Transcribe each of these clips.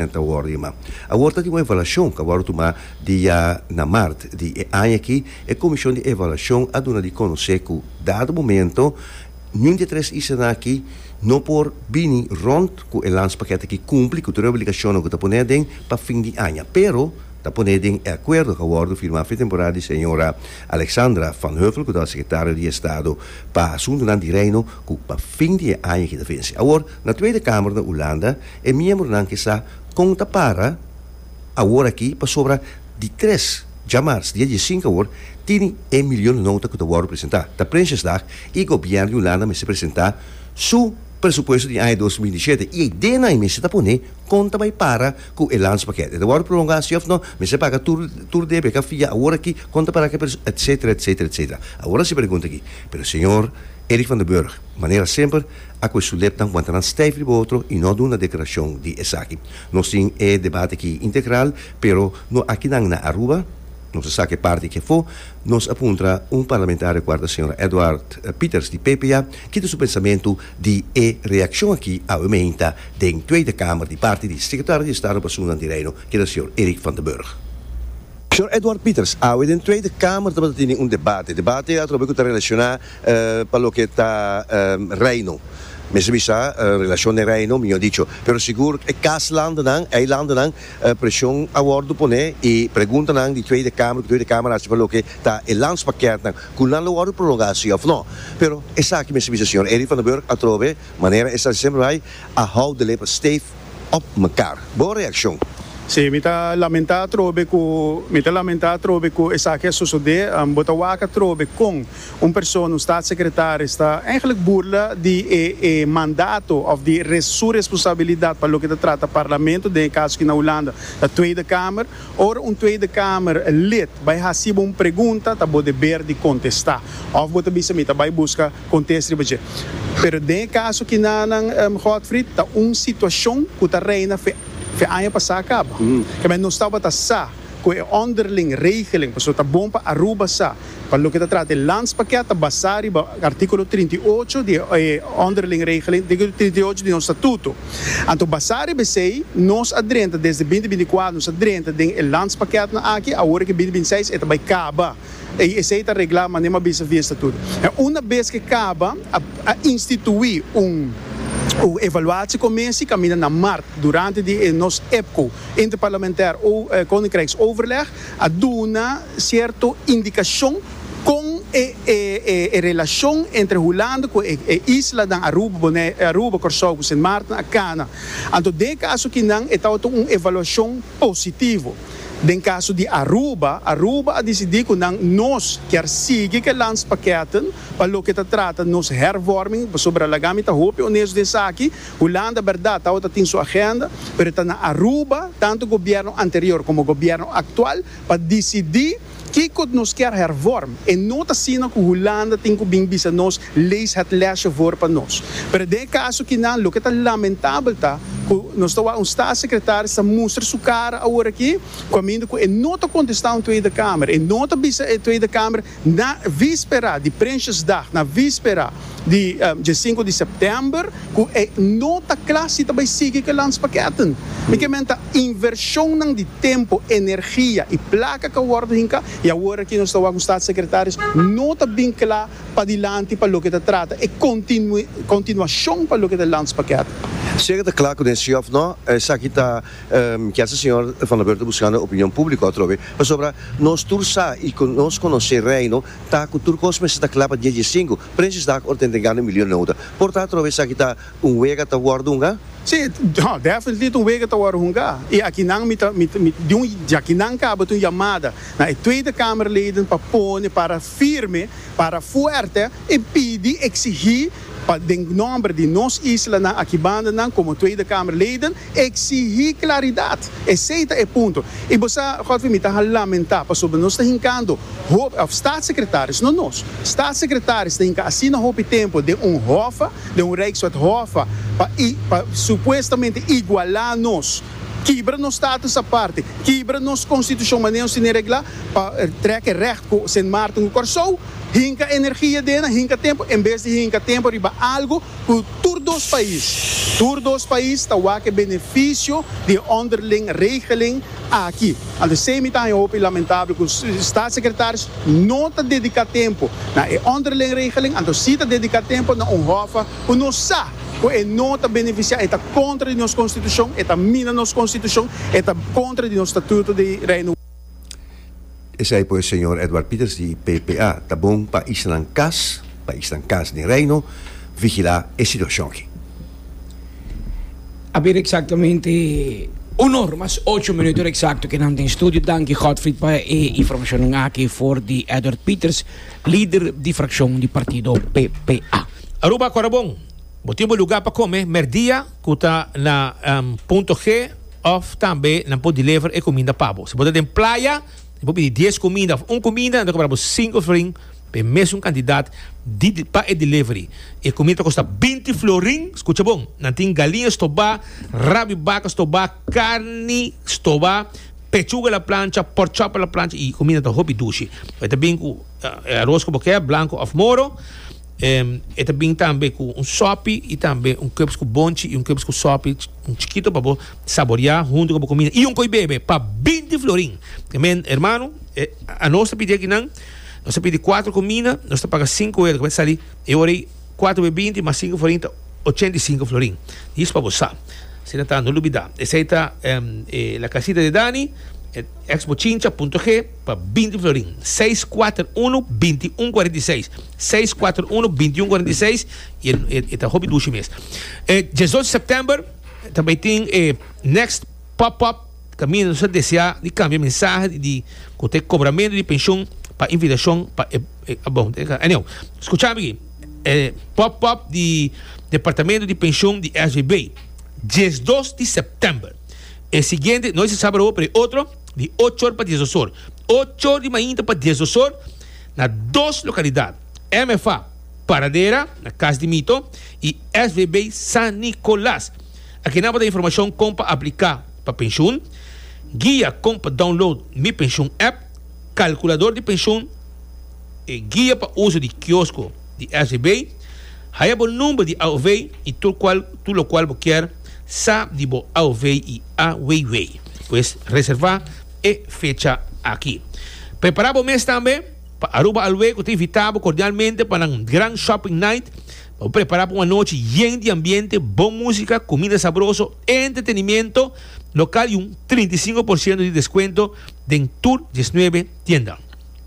nan ta wòrdu yamá. Awor ta tin un evaluashon ku a wòrdu tumá dia na mart di e aña aki. E komishon di evaluashon a duna di konosé ku dado momento niun di e tres isanan aki no por bini rònt ku e lanspakèt aki kumpli ku tur e obligashonnan ku ta pone aden pa fin di aña pero ta pone den e akuerdo ku a wòrdu firmá fin temporada di señora Alexandra Van Hövell ku tabata sekretario di Estado pa Asuntunan di Reino ku pa fin di e aña aki ta vense. Awor. Na Tweede Kamer na Ulanda e miembronan ke sa kon ta para awor aki pasobra di tres djamars dia di e sinku awor tini e milion nota ku ta wòrdu presentá ta Prinsjesdag i gobièrn di Ulanda mester presentá su presupuesto di aña dos mil diesiete i ei den ai mester ta pone kon ta bai para ku e landspakèt e ta wòrdu prolongá si òf nò mester paga tur tur debe ka fia awor aki kon ta para etsetera etsetera etsetera awor a hasi pregunta aki pero señor Eric van der Burg manera semper a cu e sulepnan wanta nan stijf riba otro y no duna declaracion di esaki. Nos tin e debate aki integral, pero no akinan na Aruba, nos a saca e parti aki afo, nos a puntra un parlamentario cual ta señora Edward Pieters di PPA ki ta su pensamento di e reaccion aki awe meinta den Tweede Kamer di parti di Secretario di Estado pa Asunnan di Reino ki ta señor Erik van den Burg. Señor Edward Pieters, awe den Tweede Kamer tabata tene un debate, debate atrobe cu ta relaciona pa loke ta Reino. Mester bisa relashon den Reino, mihó dicho. Pero sigur e kaslandennan, e eilandennan, preshon a wòrdu poné i preguntanan di Tweede Kamer ku Tweede Kamer a hasi pa loke ta e landspakètnan, ku nan lo wòrdu prolongá si òf nò. Pero esaki mester bisa señor Eddy van den Burg atrobe, manera e sa sempre bai, a hou de leper stef òp mekar. Bon reakshon. Sí, mi ta lamentá atrobe ku, mi ta lamentá atrobe ku esaki a sosodé. Bo ta wak atrobe kon. Un persona, un staatssecretaris, ta eigenlijk burla di e e mandato of di e su responsabilidad pa loke ta trata Parlamento, den e caso aki na Hulanda ta Tweede Kamer. Ora un Tweede Kamer lid bai haci bo un pregunta ta bo deber di contesta. Of bo ta bisa mi ta bai busca contest riba dje. Pero den e caso aki na nan, Godfried, ta un situacion cu ta reina fe fe aña pasa caba. Kemey nos tabata sa cu e underling regeling, pasobra ta bon pa Aruba sa. Pa loke ta trata e landspakket ta basá riba artíkulo trinta i ocho di e Onderling Regeling, artíkulo trinta i ocho di nos statuto. Anto basá riba esei, nos a drenta desde binti binti i kuater nos a drenta den e landspakketten aki, awor ke binti binti i seis e ta bai kaba. I esei ta reglá manera mi a bisa via statuto. En una bes ke kaba a instituí un un evaluatiekommissie kaminda na mart durante di e nos EPCO, Interparlementair Koninkrijksoverleg, a duna cierto indicacion con e relacion entre Hulanda cu e islanan Aruba, Corsou cu Sint Maarten a cana. Anto den e caso akinan e tabata un evaluacion positivo. Den caso di Aruba, Aruba a dicidi cu nan nos kier sigui cu e landspakketten pa loke ta trata nos hervorming, pasobra laga mi ta hopi honesto den esaki, Hulanda berdad tawata tin su agenda, pero e ta na Aruba, tantu gobierno anterior como gobierno actual, pa dicidi kico nos kier hervorm. E no ta asina cu Hulanda tin cu bin bisa nos, lees het lesje voor pa nos. Pero den e caso aki nan, loke ta lamentabel ta cu nos ta wak un staatssecretaris ta mustra su cara aworaki, caminda cu e no ta contesta un Tweede Kamer, e no ta bisa e Tweede Kamer, Na víspera di Prinsjesdag, na víspera di dje sinku di sèptèmber, ku e no ta kla si ta bai sigui ku e lanspakèten. Mi ke menta invershonnan di tempu, energia i plaka ka wòrdu hinká i awor aki nos ta wak un Statssekretarius no ta bin kla padilanti pa loke ta trata e kontinuashon pa loke ta e lanspakèten. Sier e ta kla ku den sí òf no, esaki ta Kier sa Señor Van der Burg ta buscando e opinion publico atrobe, pasobra nos tur sa y cu nos conoce Reino ta cu tur cos mester ta cla pa dies di e cinco, Prinsjesdag ora ta entregando e milio nota. Por ta atrobe esaki ta un wega ta worde hunga? Si, ha, definitely ta un wega ta worde hunga. Y akinan mi ta, mi ta, mi ta, di un, di akinan caba ta un yamada na e Tweede Kamerleden pa pone para firme, para fuerte y pidi, exigi, Pa den nomber di nos islanan aki bandanan komo Tweede Kamer leden eksihí klaridat. Esei ta e punto. I bo sa, Godfrey, mi ta a lamentá pasobra nos ta hinkando hopi, òf Staatsecretaris, no nos, Staatsecretaris ta hinka asina hopi tempu den un hòffa, den un Rijkswet hòffa pa i, pa supuestamente igualá nos, kibra nos status aparte, kibra nos Konstitushon manera nos tene reglá pa trèk e rècht ku Sint Maarten ku Kòrsou. hinka energia den na hinka tempu en bes di hinka tempu riba algu ku tur dos pais. Tur dos pais ta wak e benefisio di e onderling regeling aki. Anto esei mi ta haña hopi lamentabel ku Staatssecretaris no ta dediká tempu na e onderling regeling, anto si ta dediká tempu na un hòf ku nos sa ku e no ta benefisiá, e ta kontra di nos konstitushon, e ta mina nos konstitushon, e ta kontra di nos Statuto di Reino. Esei por e señor Edward Pieters di PPA. Ta bon pa Isnan Kas, pa Isnan Kas den Reino, vigilá e situashon aki. A bira eksaktamente un or mas ocho minutonan eksakto ke nan den studio. Danki Godfried pa e informashonnan aki for di Edward Pieters, lider di frakshon di partido PPA. Aruba Corabon, bo tin bo luga pa kome merdia ku ta na Punto G. Of tambe nan por deliver e cuminda pabo. Si bo ta den playa y bo pidi dies cuminda of un cuminda nan ta cobra bo cinco florin pa e mesun cantidad di pa e delivery. E cuminda ta costa binti florin. Scucha bon. Nan tin galiña stoba, rabo di baca stoba, carni stoba, pechuga la plancha, pork chop la plancha y e cuminda ta hopi dushi. E ta bin cu e aros cu bo kier, blanco of moro. E ta bin tambe ku un sòpi i tambe un kebs ku bonchi i un kebs ku sòpi, un chikito pa bo saboriá huntu ku bo kumida i un koi bebe pa binti florin. Amén, hermano. Anos ta pidi aki nan, nos ta pidi kuater kumina, nos ta paga sinku euro, kaba ta sali e ora ei? Kuater be binti mas sinku florin ta ochenta i sinku florin. Yis pa bo sa. Asina ta, no lubidá. Esei ta La Casita de Dani, Xbochincha punto G. pa binti florin seis kuater unu binti un kuarenta i seis seis kuater unu binti un kuarenta i seis i e ta hopi dushi mes e diesocho sèptèmber ta bai tin e next pòp pòp ta mina nos ta deseá di kambia mensahe di di ku ta e kobramentu di penshun pa invitashon pa e bon ta e anyou skucha mi e pòp pòp di departamentu di penshun di SGB diesdos di sèptèmber e siguiente no es e sábado awo pero e otro di ochor pa dies osor, ochor di mainta pa dies osor na dos lokalidat, MFA Paradera na Kas di Mito i SVB San Nicolas. Akinan bo ta informashon kon pa apliká pa penshun, guia kon pa download Mi Penshun app, kalkulador di penshun, E guia pa uso di kiosko di SEB, Haya bo number di AOV y tur cual tur locual bo kier sa di bo AOV y AWW. Pues reserva e fecha aki. Prepara bo mes tambe pa Aruba Alwe cu ta invita bo cordialmente pa nan gran shopping night pa bo prepara pa un anochi yen di ambiente, bon musica, comida sabroso, entretenimiento local y un trinta i sinku por ciento di descuento den tur diesnuebe tienda.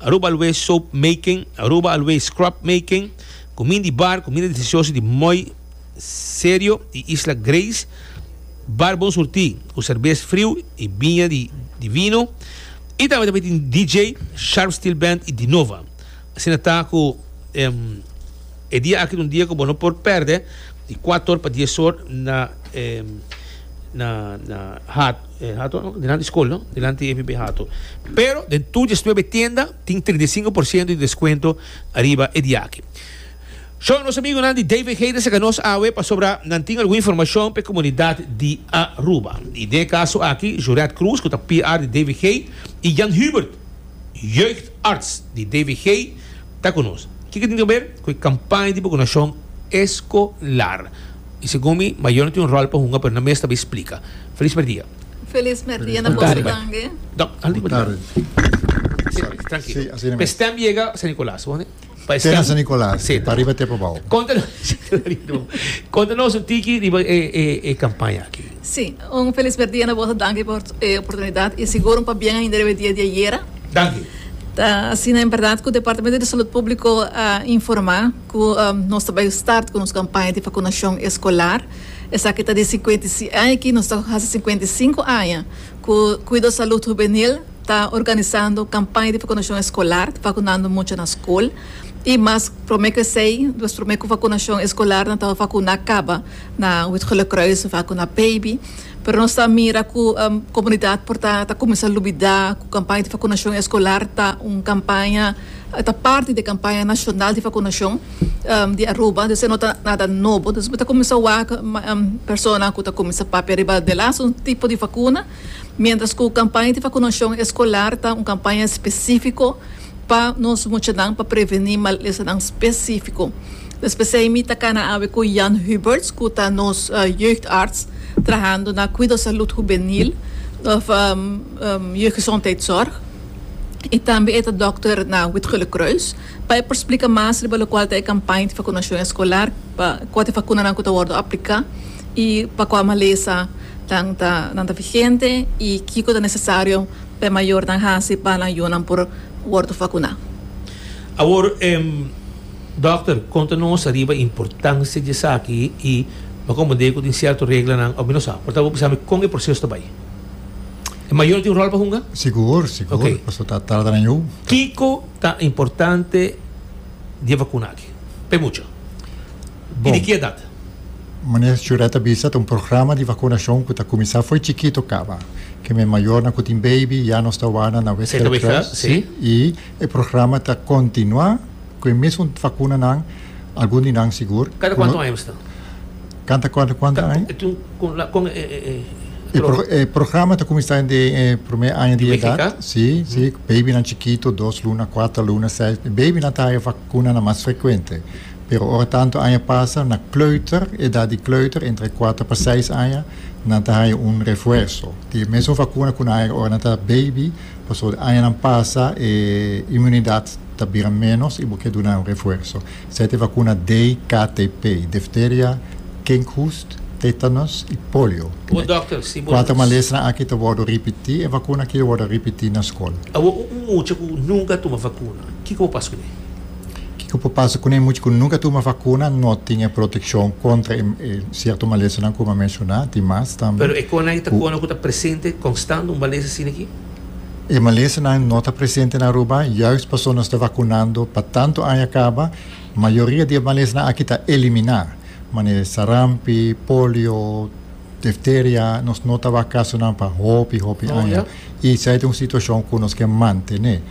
Aruba always soap making, Aruba always scrub making, Kumin di bar, Kuminda delisioso di Mooi Serio i Isla Grace, Bar Bon Surtí ku serbes friu i biña di di vino, i tambe ta tin DJ, Sharp Steel Band i Dinova. Asina ta ku e dia aki ta un dia ku bo no por pèrdè di kuator pa dies or na na na. E hato dilanti skol no, dilanti e bibi hato. Pero den tur diesnuebe tienda tin trinta i sinku por siento di deskuento ariba e di'aki. Sho, nos amigunan di David Haid a saka nos awe pasobra nan tin algun informashon p'e komunidat di Aruba. I den e kaso aki, Joret Cruz ku ta PR di David Haid i Jan Hubert, Jeugdarts di David Haid, ta ku nos. Kiko tin kaber ku e kampaña di bakunashon eskolar? Y segun mi, mayor no tin un rol pa hunga, pero nan mes ta bay splica. Feliz merdia. Feliz merdia na boso tambe. Good tarde. Tranquilo. Pe stem yega San Nicolas. Te na San Nicolas. Te pariba te pabao. Conta nos un tiki riba e campaña aki. Si, un feliz merdia na boso. Danki por e oportunidad y sigur un pabien ainda riba e dia di ayera. Danki. Ta asina en berdad cu Departamento di Salud Publico a informa. Cu nos ta bai start cu nos campaña di vacunacion escolar. Esaki ta di cincuenta y si aña aki nos ta haci cincuenta y cinco aña cu Cuido Salud Juvenil ta organisando campaña di vacunacion escolar, vacunando mucha na school. Y mas prome cu esey, nos prome cu vacunacion escolar nan tava vacuna caba na Wit-Gelukruis of acu na Baby. Pero nos ta mira cu comunidad por ta cuminsa lubida cu campaña di vacunacion escolar ta un campaña. E ta parti di kampaña nashonal di vakunashon di Aruba, dus e no ta nada nobo. Dus bo ta kuminsá wak persona ku ta kuminsá papia riba delás un tipo di vakuna, miéntras ku kampaña di vakunashon eskolar ta un kampaña spesífiko pa nos muchanan pa prevení malesanan spesífiko. Despues ei mi ta kana awe ku Jan Huberts, ku ta nos jeugdarts trahando na Cuido Salud Juvenil òf Jeuggezondheidszorg. i tambe e ta dòkter na Witgulekruis, pa e por splika mas riba lokual ta e kampaña di fakunashon eskolar, pa kua ta e fakunanan ku ta wòrdu apliká i pa kua malesa nan ta nan ta vigente i kiko ta nesesario pa e mayornan hasi pa nan yunan por wòrdu fakuná. Awor, dòkter, konta nos ariba e importansia di esaki i pa komo dei ku tin sierto reglanan òf mi no sa. Por tabata bo bisa mi kon e proseso ta bai? E mayor tin rol pa hunga? Sigur, sigur. Okay. Paso ta tarda na yo. Kiko ta importante di vacuna aki? Pe mucho. Bon. Y di ki edad? Meneer Chureta bisa ta un programa di vacunacion cu ta cuminsa fo'i chikito caba. Ke men mayornan cu tin baby ya nos ta wana na Westveld Crest. Sí. Y e programa ta continua cu e mesun vacunanan, algun di nan sigur. Cada cuanto aña bista? Kanta kòrda kuanta aña? Ta tin kon la kon e E pro e programa ta kuminsá dende e promé aña di edat. BGK? Si, si, babynan chikitu, dos luna, kuater luna, seis. Babynan ta haña vakunanan mas frekuente. Pero ora tantu aña pasa, na kleuter, edat di kleuter, entre e kuater pa seis aña, nan ta haña un refuerso di e mesun vakuna ku nan haña ora nan ta baby, pasobra añanan pasa e imunidat ta bira ménos i bo ke duna nan un refuerso. Sete vakuna dei KTP, difteria, kinkhoest, tetanus i polio. Bo dokter, si bo ta. Kuater malesnan aki ta wòrdu ripití, e vakuna aki lo wòrdu ripití na skol. Awor un mucha ku nunka a tuma vakuna, kiko por pasa kuné? Kiko por pasa kuné? Mucha ku nunka a tuma vakuna no tin e protekshon kontra e sierto malesnan ku mi a menshoná, tin mas tambe ku. Pero e kona ei ta kona ku ta presente konstant un malesa asina aki? E malesanan no ta presente na Aruba juist pasobra nos ta vacunando pa tanto aña caba. Mayoria di e malesanan aki ta eliminá, mane sarampi, polio, difteria, nos no tawak casonan pa hopi, hopi aña. I esei ta un situacion cu nos ke mantené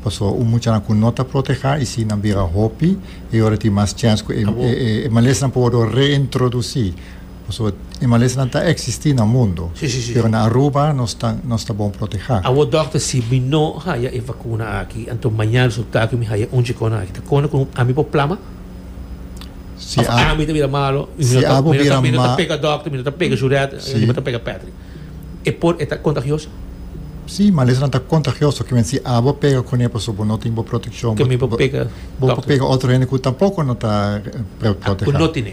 pasobra un muchanan cu no ta protehá y si nan bira hopi e ora tin mas chens cu e malesanan por wordó reintroducí. Pasobra animalesnan ta eksistí na mundu, pero na Aruba nos ta nos ta bon protehá. Awor dòkter, si mi no haya e vakuna aki, anto maña resultá ku mi haya un chikonan aki ta kòrda ku ami por plama? Òf ami ta bira malu? Mi no ta mi no ta pega dòkter, mi no ta pega Juret, mi no ta pega Patrick. E por e ta kontagioso? Sí, malesnan ta kontagioso. Ke men si abo pega kuné pasobra bo no tin bo protekshon, bo por pega otro hende ku tampoko no ta protehá. Ku no tene.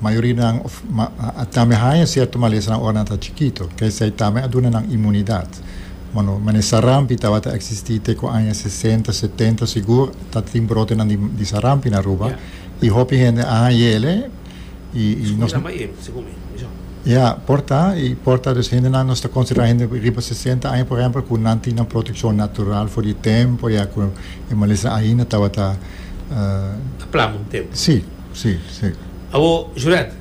Mayoria di nan a tambe haña sierto malesanan ora nan ta chikito. K'esei tambe a duna nan inmunidat. Bueno, mane sarampi tabata eksistí te ku aña sesenta, setenta sigur ta tin brotenan di sarampi na Aruba. I hopi hende a haña yele i nos ta. Ya, por ta. I por ta dus hendenan nos ta konsiderá hende riba sesenta aña por ehèmpel ku nan tin nan protekshon natural for di tempu ya ku e malesanan ainda tabata. Ta plama un tempu. Sí. Sí, sí. Awor, Juret,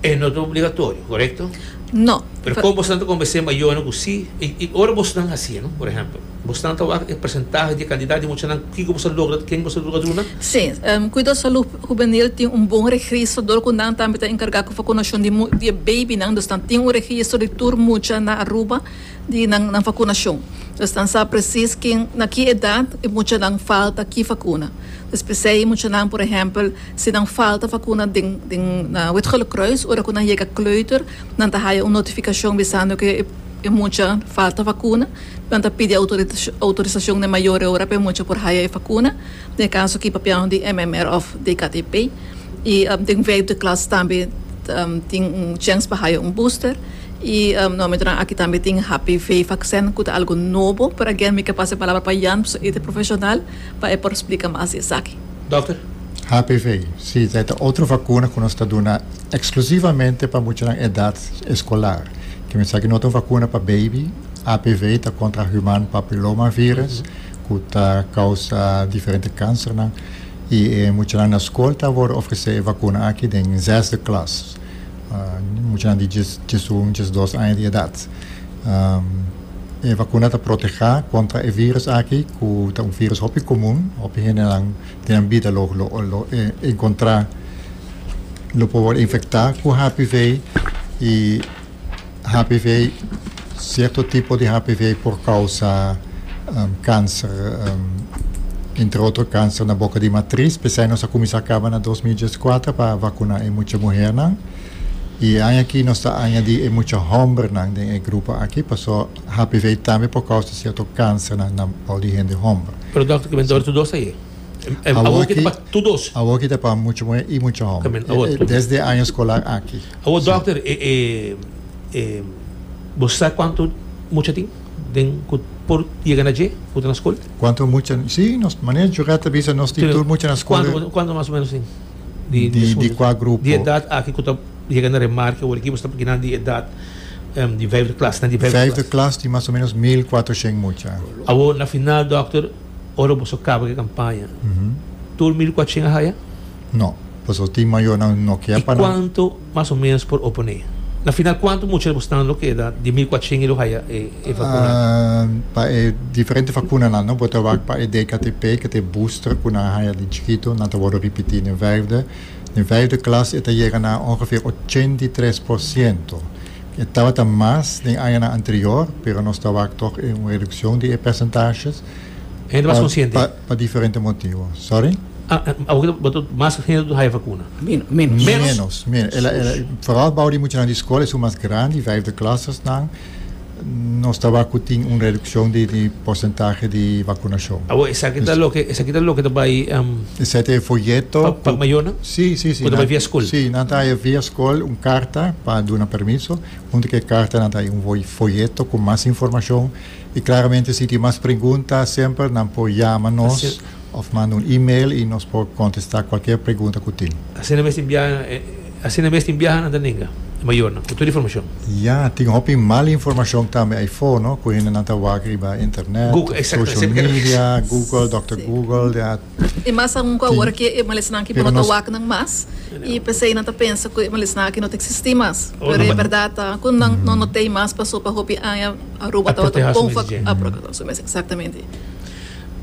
e no ta obligatorio, correcto? No. Pero con bosnan ta convence mayornan cu sí, y, y ora bosnan haci, no? Por ejemplo, bosnan ta waak e percentahe di cantidad di muchanan kico boso a logra, ken boso a logra duna? Sí, em, Cuidado Salud Juvenil tin un bon registro dor cu nan tambe ta encarga cu vacunacion di mu-, di e babynan, dus nan tin un registro di tur mucha na Aruba, di nan nan fakunacion. Nos ta sa presis kin, na ki edad e muchanan falta ki fakuna. Nos p'esei muchanan, por ehempel, si nan falta fakuna den den na Witgele Kruis, ora ku nan yega kleuter, nan ta haya un notificacion bisando ke e mucha falta fakuna. Nan ta pidi autorita autorisacion na e mayor e ora p'e mucha por haya e fakuna. Den e kaso aki papianan di MMR of DKTP. I den vijfde klas tambe tin un chèns pa haya un booster. Y no mi tra aki tambe tin HPV vaccen cu ta algo nobo pero again mi ke pasa e palabra pa Jan pasobra e ta profesional pa e por splica mas di esaki. Dokter. HPV si e ta otro vacuna cu nos ta duna exclusivamente pa muchanan edad escolar ke mensaki no ta un vacuna pa baby HPV ta contra human papiloma virus cu ta causa diferente cancernan y e muchanan na school ta worde ofrece e vacuna aki den zesde klas. Muchanan di djes un, djes dos aña di edat. E vakuna ta protehá kontra e vírùs aki ku ta un vírùs hopi komun, hopi hendenan den nan bida lo lo enkontrá, lo por wòrdu infektá ku HPV i. HPV, Sierto tipo di HPV por causa cancer, entre otro cancer na boca di matris, pesai nos a cuminsa caba na dos mil diescuater pa vacuna e mucha muhernan. Y e aña aki nos ta añadi e mucha hombernan den e grupo aki, paso HPV tambe por causa sierto cancernan na bou di hende homber. Pero Doctor, kimen dor tu dos ta ye? Awor aki ta pa tu dos? Awor aki ta pa mucha muher y mucha homber, desde e año escolar aki. Awor dokter bo sa kuantu mucha tin den ku por yega na dje ku ta na skol? Kuantu mucha si nos manera jugá ta bisa nos tin tur mucha na skol e Kuantu mas o menos tin di kua grupo? Di edat aki ku ta yega na remarke awor aki bo sta pakinan di edat di vijfde klas nan di vijfde klas vijfde klas tin mas o menos mil kuatroshen mucha awor na final dokter ora boso kaba ke kampaña tur mil kuatroshen a haya? No, pasobra tin mayonan no kier pa nan. I kuantu mas o menos por oponé? Na final kuantu mucha bo stan lo keda di mil kuatrihent i lo haya e vakuna? Pa e diferente vakunanan no bo ta wak pa e DKTP ke ta e booster ku nan haya den chikitu nan ta wòrdu ripití den vijfde den vijfde klas e ta yega na ongeveer ochenta i tres por siento e tabata mas den añanan anterior pero nos ta wak tòg e un redukshon di e persentashes Hende mas konsiente. Pa diferente motivo. Sorry? Awor cu bo ta mas hende ta haya vacuna? Menos. Menos. Menos. Menos. Ela, ela, vooral bouw die muchanan die school is mas grande, die vijfde klasesnan, nos tabaar cu tin un reduccion di, di porcentahe di vacunacion. Awor esaki ta loke, esaki ta loke ta bay, um. Esaki ta e folleto. Pa, pa mayornan? Si, si, si. Cu ta bay via school? Si, nan ta haya via school un carta pa duna permiso. Hunto cu e carta nan ta haya un folleto cu mas informacion. Y claramente si tin mas pregunta semper nan por yama nos of manda un email y nos por contesta cualkier pregunta cu tin. Asina mes tin biaha, asina mes tin biaha nan ta nenga e mayornan cu tur informacion. Ya, tin hopi mal informacion tambe ay for no, cu hendenan ta wak riba internet, social media, Google, Doctor Google, I mas aun ku awor ku e malesnan aki no ta waknan mas, i p'esei nan ta pensa ku e malesnan aki no ta eksistí mas. Pero e bèrdat ta ku nan no not'ei mas pasó pa hopi aña Aruba tabata un pon fak a proteha su mes. Eksaktamente.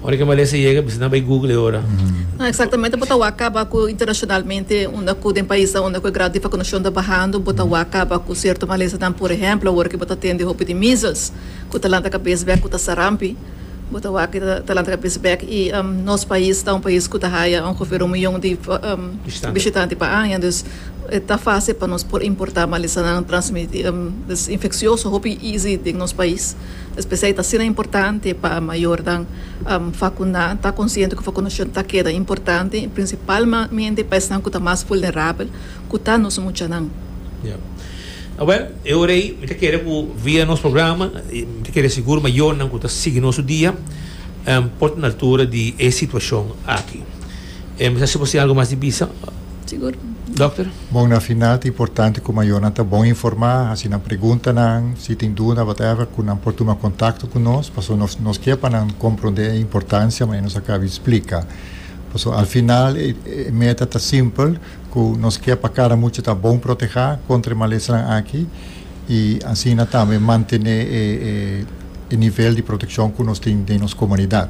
Ora ki malesa yega bisa nan bai Google ora. No, eksaktamente bo ta wak kaba ku internashonalmente unda ku den paisnan unda ku e grau di vakunashon ta bahando bo ta wak kaba ku sierto malesanan. Por ehèmpel awor ku bo ta tende hopi di measles ku ta lanta kabes bèk ku ta sarampi. Bo ta wak i ta lanta kabes bek i nos pais ta un pais ku ta haya un huvero miyon di bishitanti pa aña dus e ta fasil pa nos por importa malisanan transmiti dus infeksioso hopi easy den nos pais es p'esei i ta asina importante pa mayornan fakuná ta konsiente ku fakunashon ta keda importante prinsipalmente pa esnan ku ta mas vulnerabel. ku ta nos muchanan. Ya. Awel, e ora ei mi ta kere ku via nos programa, mi ta kere sigur mayornan ku ta sigui nos dia, por ta na altura di e situashon aki. Mi sa si bo tin algu mas di bisa, Sigur. dokter? Bon, na final ta importante ku mayornan ta bon informá, hasi nan preguntanan, si tin duda, whatever, ku nan por tuma kontakto ku nos, paso nos nos ke pa nan komprondé e importansia manera nos a kabi splika. Paso al final e meta ta simpel. Cu nos kier pa cada mucha ta bon proteha contra e malesanan aki y asina tambe mantene e nivel di proteccion cu nos tin den nos comunidad.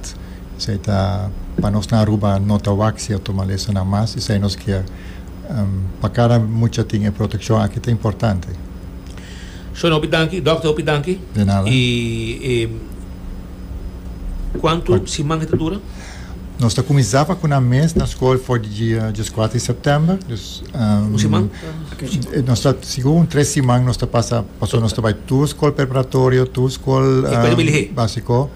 Esey ta pa nos na Aruba no ta wak cierto malesanan mas esey nos kier pa cada mucha tin e proteccion aki ta importante. Shon hopi danki, Doctor hopi danki. De nada. Y cuanto siman e ta dura? Nos ta kuminsá pa kuná mes na skol for di dia diaskuater di sèptèmber. Dus, ehm, Un siman? eh, nos ta sigur un tres siman nos ta pasa, paso nos ta bai tur skol preparatorio, tur skol E kue ta ehm, biligé? básiko.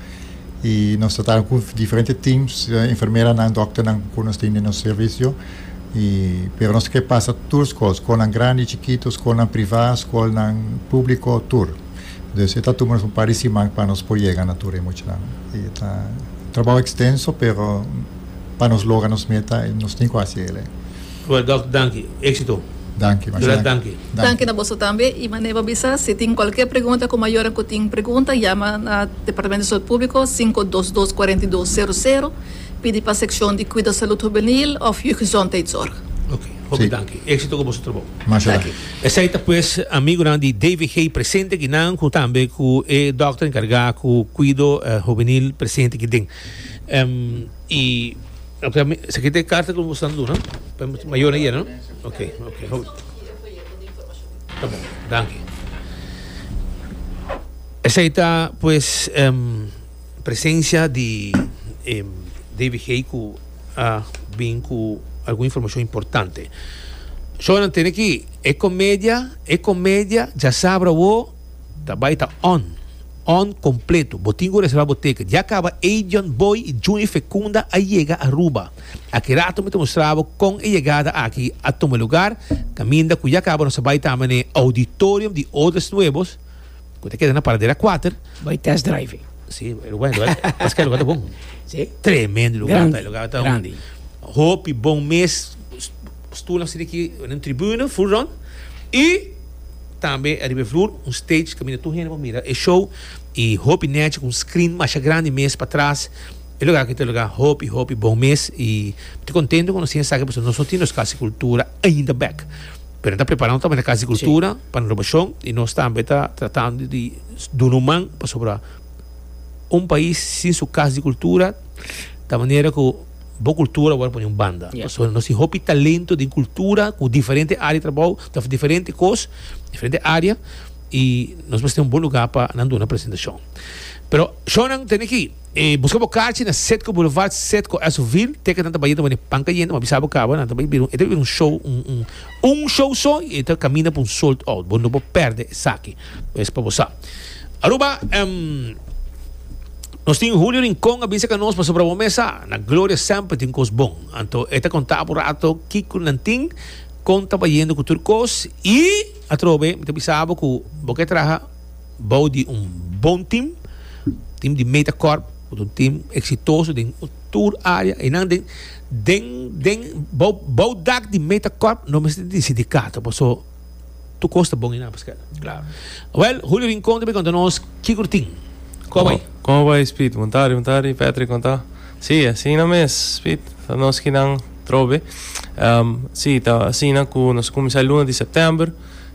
I nos ta tara ku diferente teams, eh, enfermeranan, dòkternan ku nos tin den nos servisio. I, pero nos ta ke pasa tur skol, skolnan grandi, chikito, skolnan privá, skolnan públiko, tur. Entonces e ta tuma nos un par di siman pa nos por yega na tur e muchanan. Y e ta un trabao extenso pero pa nos logra nos meta nos tin cu haci el'e. Oe Doc danki. Exito. Danki, masi danki. Graas danki. Danki na boso tambe y mane bo bisa si tin cualkier pregunta cu mayornan cu tin pregunta yama na Departamento di Salud Publico sinku dos dos kuarenta i dos seru seru pidi pa seccion di Cuido Salud Juvenil of Jeugdgezondheidszorg. Oke. Hopi danki. Exito cu boso trabao. Masi danki. Esei ta pues amigunan di DVG presente aki nan cu tambe cu e dokter encarga cu cuido hubenil presente aki den. Y esaki ta e carta cu nos nan duna pa e mayornan yera no? Ok, ok, ta bon, danki. Esei ta pues presencia di DVG cu. a bin cu algun informacion importante. Zo nan tene ki e comedia, e comedia, ja sabra wo, ta bai ta on. On completo. Bo tin cu reserva bo ticket. Ya caba Adrian Boy y Juni Fecunda a yega Aruba. Aki rato mi ta mustra bo con e yegada aki a tuma lugar, caminda cu ya caba nos a bai tambe na e auditorium di Odes Nuevos, cu ta keda na paradero a cuater. Bay test driving. Sí, e lugar, e lugar, pas que e lugar ta bon. Sí. Tremendo lugar, Grandi, e lugar ta un- grandi. hopi bon mes, st- stoelnan siti aki den tribune, full round, y tambe ariba e vloer un stage caminda tur hende por mira e show, y hopi nechi cu un screen masha grandi mes patras, E lugar aki ta un lugar hopi hopi bon mes y mi ta contento cu nos tin esaki pasobra nos no tin nos Casa di Cultura ainda bek pero nan ta prepara un tambe Casa di Cultura pa renovacion y nos tambe ta tratando di duna un man pasobra un pais sin su Casa di Cultura ta manera cu bo cultura word pone un banda pasobra nos tin hopi talento den cultura cu diferente area di trabao ta diferente cos diferente area y nos mester tin un bon lugar pa nan duna presentacion pero shownan tene aki. E buska bo kachi na Citgo Boulevard, Citgo, Esso-ville. Te ke nan ta bai e ta wende pan kayente, m'a bisa bo kaba nan ta bai bira un, e ta bai bira un show, un, un, un show so i e ta kaminda pa un sold out. Bo no por pèrdè esaki. Pues pa bo sa. Aruba, em, nos tin Julio Rincon a bisa ka nos pasobra bo mes sa, na Gloria semper tin kos bon. Anto e ta konta bo un rato kiko nan tin, kon ta bayendo ku tur kos i atrobe mi ta bisa bo ku bo ke traha, bou di un bon tim, tim di meta kort, ku ta un tim eksitoso den tur área. Einan den, den, den, bou, bou dak di meta kort no mester di sindikato, paso tur kos ta bon einan pa skeda. Klar. Wèl, Julio Rincon ta bin konta nos kiko ta tin. Kòm ei? Kòm bai, Speed? Buntadi, buntadi, Patrick, kon ta? Sí, asina mes, Speed, ta nos kinan trobe. Sí, ta asina ku nos kuminsá e luna di sèptèmber.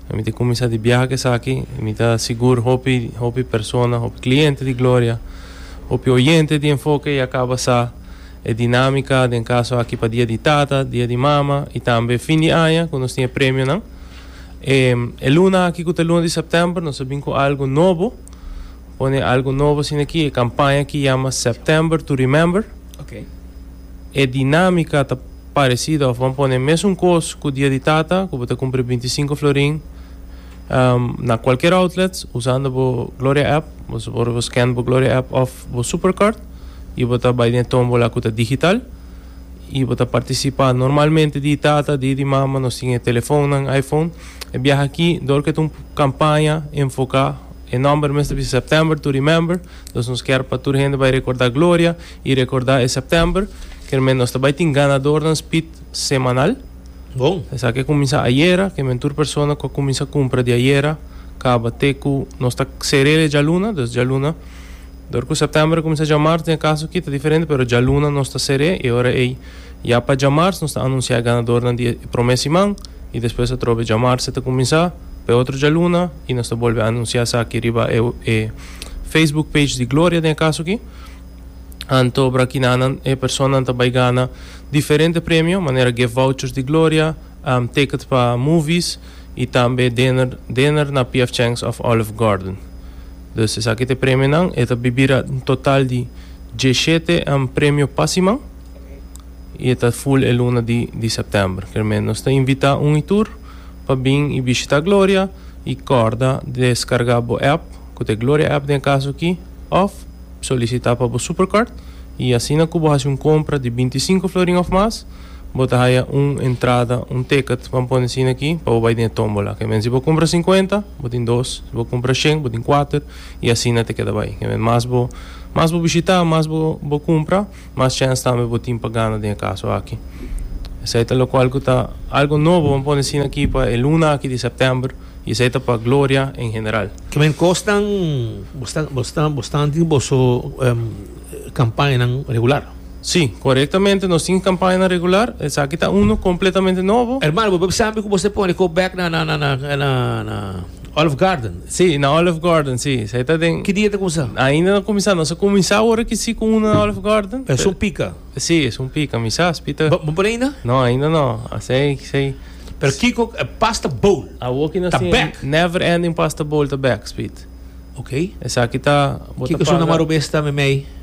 E mi ta kuminsá di biaha ku esaki i mi ta sigur hopi hopi persona, hopi kliente di Gloria, hopi oyente di Enfoke ya kaba sa e dinámika den kaso aki pa Dia di Tata, Dia di Mama i tambe fin di aña ku nos tin e premionan. E e luna aki ku ta luna di sèptèmber nos a bin ku algu nobo, pone algu nobo asina aki, e kampaña ki yama September to Remember. E dinámika ta. Parecida of bo a pone mesun cos cu Dia di Tata cu bo ta cumpri binti sinku florin na cualkier outlet usando bo Gloria app, bo por bo scan bo Gloria app of bo Supercard y bo ta bay den e tombola cu ta digital y bo ta participa normalmente Dia di Tata, Dia di Mama nos tin e telefonnan iPhone e biaha aki dor cu e ta un campaña enfoca e nomber mes ta bisa September to remember, nos kier pa tur hende bay recorda Gloria Y recorda e September kermey nos ta bay tin ganadornan speed semanal. Bon. Esaki a cuminsa ayera, kermey tur persona cu a cuminsa cumpra di ayera caba te cu nos ta cerel e djaluna, dus djaluna. Dor cu September a cuminsa djamarz den e caso aki ta diferente pero djaluna nos ta cere y ora ey ya pa djamarz nos ta anuncia e ganadornan di e prome siman y despues atrobe djamarz ta cuminsa pa e otro djaluna y nos ta bolbe anuncia esaki riba e Facebook page di Gloria den e caso aki. Anto Brakinaanan e personanan ta bai gana diferente premio manera gift vouchers di Gloria, tickets pa movies y tambe dinner dinner na PF Chang's of Olive Garden. Dus esaki ta e premionan. E ta bira un total di dieshete premio pa siman y e ta full e luna di di september. Kermé nos ta invita un y tur. pa bin y bishita Gloria y corda descarga bo app cu ta e Gloria app den e caso aki of solicita pa bo Supercard y asina cu bo haci un compra di binti i sinku florin of mas bo ta haya un entrada un ticket ban pone asina aki pa bo bay den e tombola kemen si bo compra cincuenta bo tin dos si bo compra shen bo tin cuater y asina ta keda bay kemen mas bo mas bo bishita mas bo bo compra. Mas chèns tambe bo tin pa gana den e kaso aki. Esei ta lokual ku ta algu nobo, bo pone asina aki, pa e luna aki di sèptèmber i esei ta pa gloria en general. Kimen kosnan bo stan tin boso kampañanan regular? Sí, korektamente nos tin kampañanan regular. Esaki ta unu kompletamente nobo. Hermano, bo debe sabi ku bo mester pone kop bèk na. Olive Garden, si, na Olive Garden, si. Sa e ta den. Ki dia ta kuminsá? Ainda no kuminsá. Nos a kuminsá ora ki si ku unu na Olive Garden. Pero es un pika? Si, es un pika. Mi sa aspi ta. Bo pone ainda? No, ainda no. Asei, asei. Pero kiko e pasta bowl ta bèk? Never Ending Pasta Bowl ta bèk, Speed. Oké. Esaki ta, bo ta paga. Kiko su na maru mes ta, Meimei?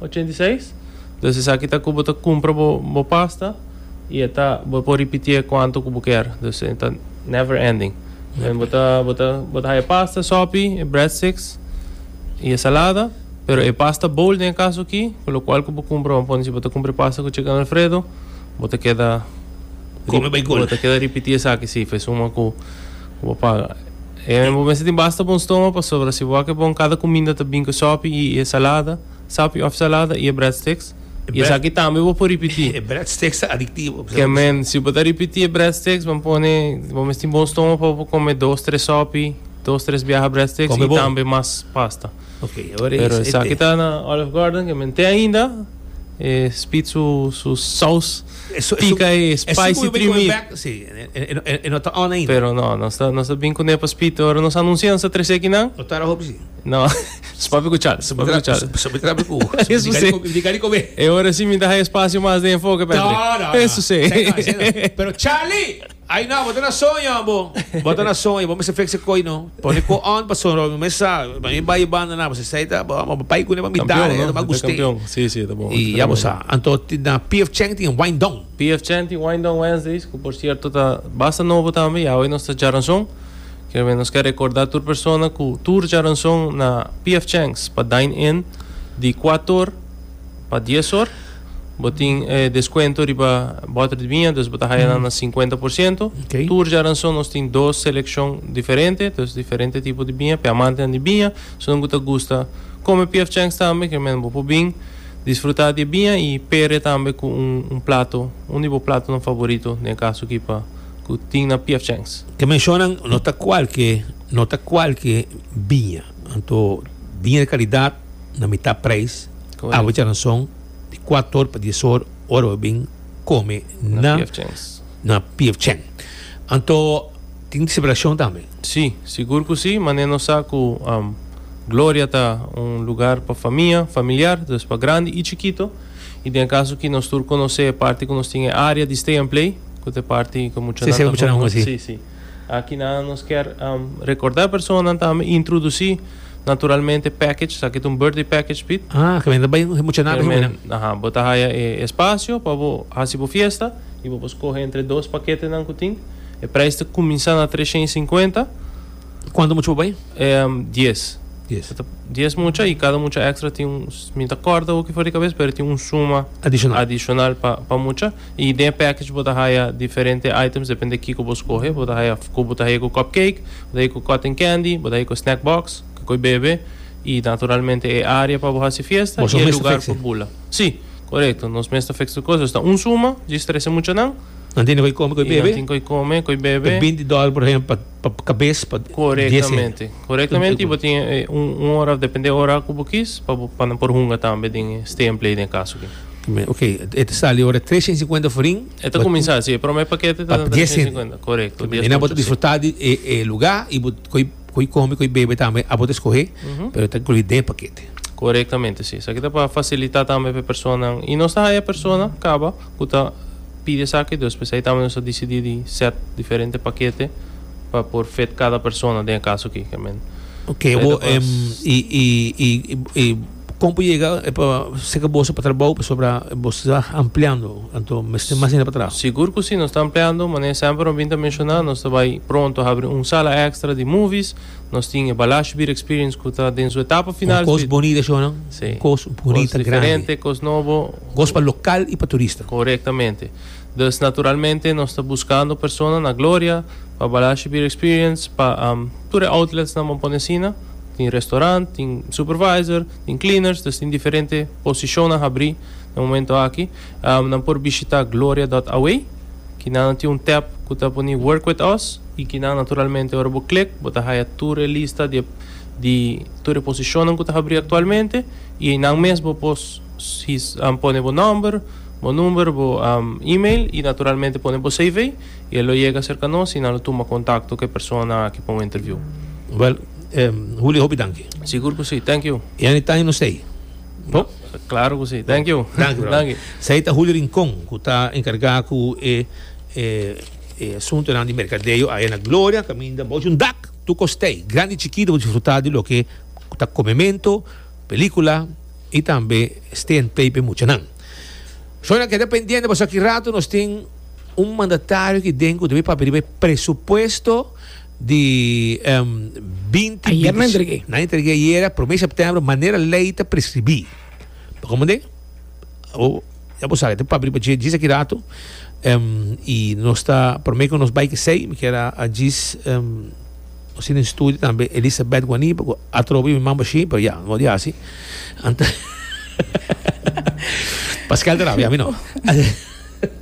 ochenta i seis. Entonces esaki ta cu bo ta cumpra bo bo pasta y e ta bo por ripitié cuanto cu bo kier. Entonces e ta never ending. Never. Bo ta bo ta bo ta haya pasta, sopi, e breadsticks y e salada. Pero e pasta bowl den e caso aki cu locual cu bo cumpra vamos pone si bo ta cumpra e pasta cu chicken alfredo bo ta keda Come bay cul. bo ta keda ripitié esaki si fue suma cu cu bo paga. Bo mester tin basta bon stoma pasobra si bo a ke bon kada kuminda ta bin ku sopi i e salada, sopi òf salada i e breadsticks. I esaki tambe bo por ripití. E breadsticks ta adiktivo. Ke men, si bo ta ripití e breadsticks bo pone bo mester tin bon stoma pa bo por kome dos tres sopi, dos tres biaha breadsticks i tambe mas pasta. Pero esaki ta na Olive Garden ke men te ainda e spit su saus. Pica e spicy primi. Pero no, nos ta nos ta bin cu ne pa spito ora nos anuncia nos ta trece aki nan. No, su papi cu chal, su papi cu chal. Eso si. E ora si mi ta haña espacio mas den enfoke Patrick. Eso si. Ay no, bo ta na soño bo, bo ta na soño, bo mester flex e koy no, pone ko on pa sonromi, bo mester sa, pa mi bai e banda nan, bo sa esei ta, bo bo bai kune pa mi dare, Campeon no, ta guste, campeon, si si ta bon, y ya bo sa, anto na PF Chang tin wind down. PF Chang tin wind down Wednesdays, cu por cierto ta basta nobo tambe, ya hoy nos ta Djaranzon, kier me nos ke recorda tur persona cu tur Djaranzon na PF Chang's pa dine in di kuator pa dies or. Bo tin e deskuento riba bòter di biña, dus bo ta haya nan na sinkuenta por siento. Oké. Tur djaranson nos tin dos selekshon diferente, dos diferente tipo di biña, p'e amantenan di biña. Esunat ku ta gusta kome PF Chang's tambe, ke menos bo por bin disfrutá di e biña i pere tambe ku un un plato, un di bo platonan favorito, den e kaso aki pa ku tin na PF Chang's. Ke menshonan no ta kualke no ta kualke biña. Anto biña di kalidat. na mitá prijs. Awacha nan son di kuator pa dies or ora bo bin kome na na PF Chang. Anto tin celebracion tambe? Si, sigur ku si, mane nos sa ku Gloria ta un lugar pa famia, familiar, dus pa grandi i chikito. I den e kaso aki nos tur konosé e parti ku nos tin e área di stay and play, ku ta e parti ku muchanan ta hunga. Si, si. Akinan nos kier recorda e personanan tambe introduci naturalmente package, sa kit un birthday package Piet. Ah, ke men ta bai e mucha nabe hopi nan. Aha, bo ta haya e espacio pa bo haci bo fiesta y bo por scoge entre dos paketenan cu tin. E prijs ta cuminsa na treshen i sinkuenta. Cuantu mucha bo bai? Dies. Dies. Dies mucha y cada mucha extra tin un, mi ta corda hopi for di cabes, pero tin un suma. Adicional. Adicional pa mucha. Y den e package bo ta haya diferente items depende kico bo scoge. Bo ta haya cu bo ta haya cu cupcake, bo ta haya cu cotton candy, bo ta haya cu snack box, kico y bebe y naturalmente e area pa bo haci fiesta y e lugar pa bula. Si, corecto. Nos mes ta fix tur cos. Nos ta un suma djis trece muchanan. Nan tin cu y come, cu y bebe. Y nan tin cu y come, cu y bebe. Ta binti dollar por ehempel pa. Pa cabes pa dies hende. Correctamente. Correctamente y bo tin un ora, depende e ora cu bo kis pa bo, pa nan por hunga tambe den e stay and play den e caso aki. Bien, ok. E ta sali ora tres shen cincuenta forin. E ta cuminsa si. E prome pakete ta tres shen cincuenta. Correcto. Bien, ena bo ta disfruta di e luga y bo coy, coy come, coy bebe tambe abo ta escoge pero e ta inclui den e pakete. Correctamente si. Esaki ta pa facilita tambe pa e personanan y nos ta haya e persona caba. cu ta pidi esaki dus p'esey ta nos a dicidi di set diferente pakete pa por fit cada persona den e caso aki amen. Ok bo em y y y y con bo yega e pa seca boso pa trabou pasobra boso ta ampliando anto mester mas hende pa traha. Sigur cu si nos ta ampliando mane semper nos bin ta menciona nos ta bay pronto habri un sala extra di movies. Nos tin e Balash Beer Experience ku ta den su etapa final. Con cos bonita eshonan. Sí. Cos bonita, grandi. Cos diferente, cos nobo. Cos pa local y pa turista. Correctamente. Dus naturalmente nos ta buscando persona na Gloria pa Balash Beer Experience pa tur e outlets nan bo pone asina. Tin restaurant, tin supervisor, tin cleaners, dus tin diferente posicionnan habri na momento aki. Um nan por bishita Gloria dot away ki nan lo tin un tab ku ta poni Work with Us i ki nan naturalmente ora bo klik bo ta haya tur e lista di e di tur e posishonnan ku ta habri aktualmente i einan mes bo por his um pone bo nòmber bo number bo um email i naturalmente pone bo CV i e lo yega serka nos i nan lo tuma kontakto ku e persona aki pa un interviu. Wèl, eh, Julio hopi danki. Sigur ku si. Thank you. E anitay no stay. No? Claro cu si. Thank you. Danki, brother. Danki. Esei ta Julio Rincon, cu ta encarga cu e e e asuntonan di mercadeo aya na Gloria, caminda bochi un dak, tur costei, grandi y chikito, bo disfruta di loke ta comemento, pelicula y tambe stay and play pa e muchanan. Shona, keda pendiente pasobra aki rato nos tin un mandatario aki den cu ta bay papia riba e presupuesto, di binti binti nan entrege nan entrege ayera prome septembro manera ley ta prescribi pa como de o ya bo sabe te public pa djis aki rato y nos ta prome cu nos bay kesey mi kier a djis nos tin den studio tambe Elisabeth Guani pagu atrobe mi mambo shi pero ya no di asi Pascal ta raba ya mi no.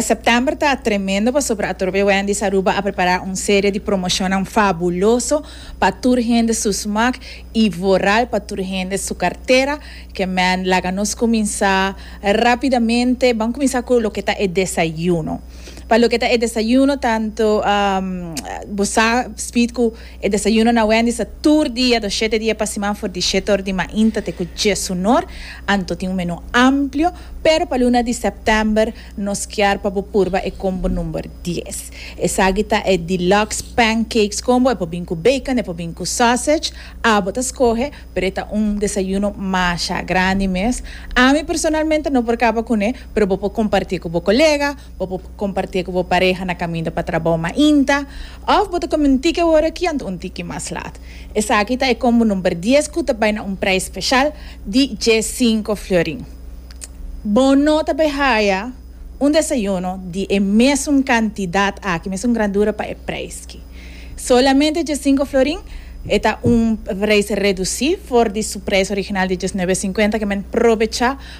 September ta tremendo pasobra Atorbe Wendy's Aruba a prepara un serie di promocionnan fabuloso pa tur hende su smak y vooral pa tur hende su cartera. Kemen laga nos cuminsa rapidamente. Ban cuminsa cu loke ta e desayuno. Pa loke ta e desayuno tanto bo sa Speed cu E desayuno na Wendy's ta tur dia do shete dia pa siman for di shete or di mainta te ku djes hunor. Anto tin un menú amplio, pero pa luna di sèptèmber nos kier pa bo purba e kombo number dies. Esaki ta e Deluxe Pancakes Combo, e por bin ku bacon, e por bin ku sausage, abo ta skohe, pero e ta un desayuno masha grandi mes. Ami personalmente no por kaba kuné, pero bo por kompartí ku bo kolega. Bo por kompartié ku bo pareha na kaminda pa trabou mainta, òf bo ta kome un tiki awor aki anto un tiki mas lat. Esaki ta e kombo number dies ku ta bai na un preis speshal di dje sinku fliorin. Bo no ta bai haya un desayuno di e mesun kantidat aki, mesun grandura pa e preis ki. Solamente dje sinku florin, e ta un preis redusí for di su preis original di diesnuebe e sinkuenta, kemen probechá.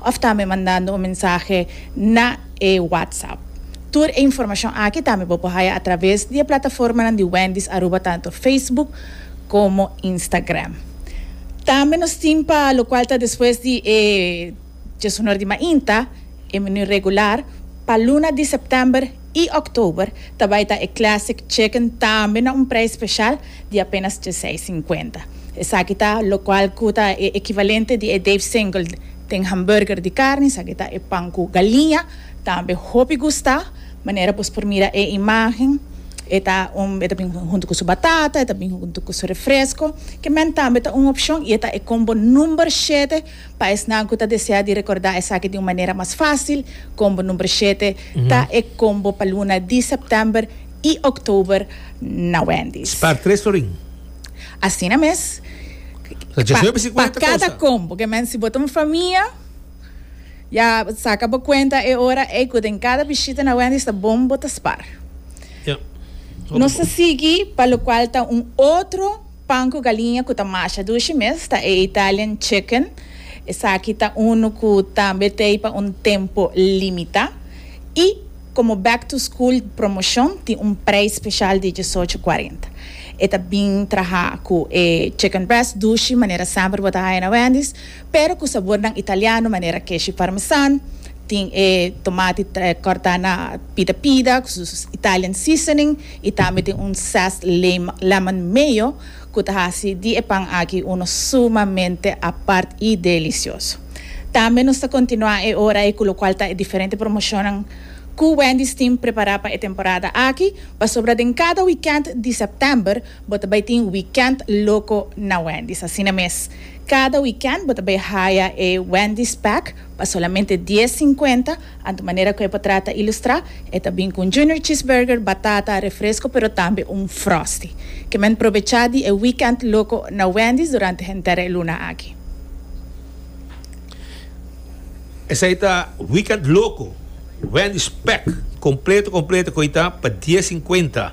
òf tambe mandando un mensahe na e WhatsApp. Tur e informashon aki tambe bo por haya atraves di e plataformanan di Wendy's Aruba tantu Facebook komo Instagram. Tambe nos tin pa lokual ta despues di e Djesonor di Mainta, e menu regular, pa luna di sèptèmber. y October ta bay ta e Classic Chicken tambe na un prijs special di apenas dieseis cincuenta. Esaki ta locual cu ta e equivalente di e Dave Single den hamburger di carni, esaki ta e pan cu galiña, tambe hopi gusta, manera bos por mira e imagen e ta un e ta bin hunto cu su batata, e ta bin hunto cu su refresco, ke men tambe ta un opcion y e ta e combo number shete. Pa esnan cu ta desea di recorda esaki di un manera mas facil, combo number shete ta e combo pa luna di September y October na Wendy's. Spaar tres florin. Asina mes. Pa cada combo, que men si bo ta un famia, ya saca bo cuenta e ora ey cu den cada bishita na Wendy's ta bon bo ta spaar. Nos ta sigui pa locual ta un otro. Pan ku galiña ku ta masha dushi mes ta e Italian chicken. Esaki ta unu ku tambe ta ei pa un tempu limitá. I komo back to school promoshon tin un preis speshal di diesocho kuarenta. E ta bin traha ku e chicken breast dushi manera semper bo ta haya na Wendy's pero ku sabornan italiano manera keshi parmesan, tin e tomati kòrtá na pida pida ku su Italian seasoning. I tambe tin un zest lema, lemon mayo, ku ta hasi di e pan aki uno sumamente apart i delicioso. Tambe nos ta kontinuá e ora ei ku lokual ta e diferente promoshonnan ku Wendy's tin prepará pa e temporada aki, pasobra den kada wikènt di sèptèmber bo ta bai tin Wikènt Loko na Wendy's. Asina mes, kada wikènt bo ta bai haya e Wendy's Pack pa solamente dies sinkuenta, Anto manera cu e por trata ilustra, e ta bin cu un Junior Cheeseburger, batata, refresco pero tambe un Frosty. Ke men probecha di e weekend loco na Wendy's durante henter e luna aki. Esai ta weekend loco, Wendy's pack completo completo cu ita pa dies cincuenta.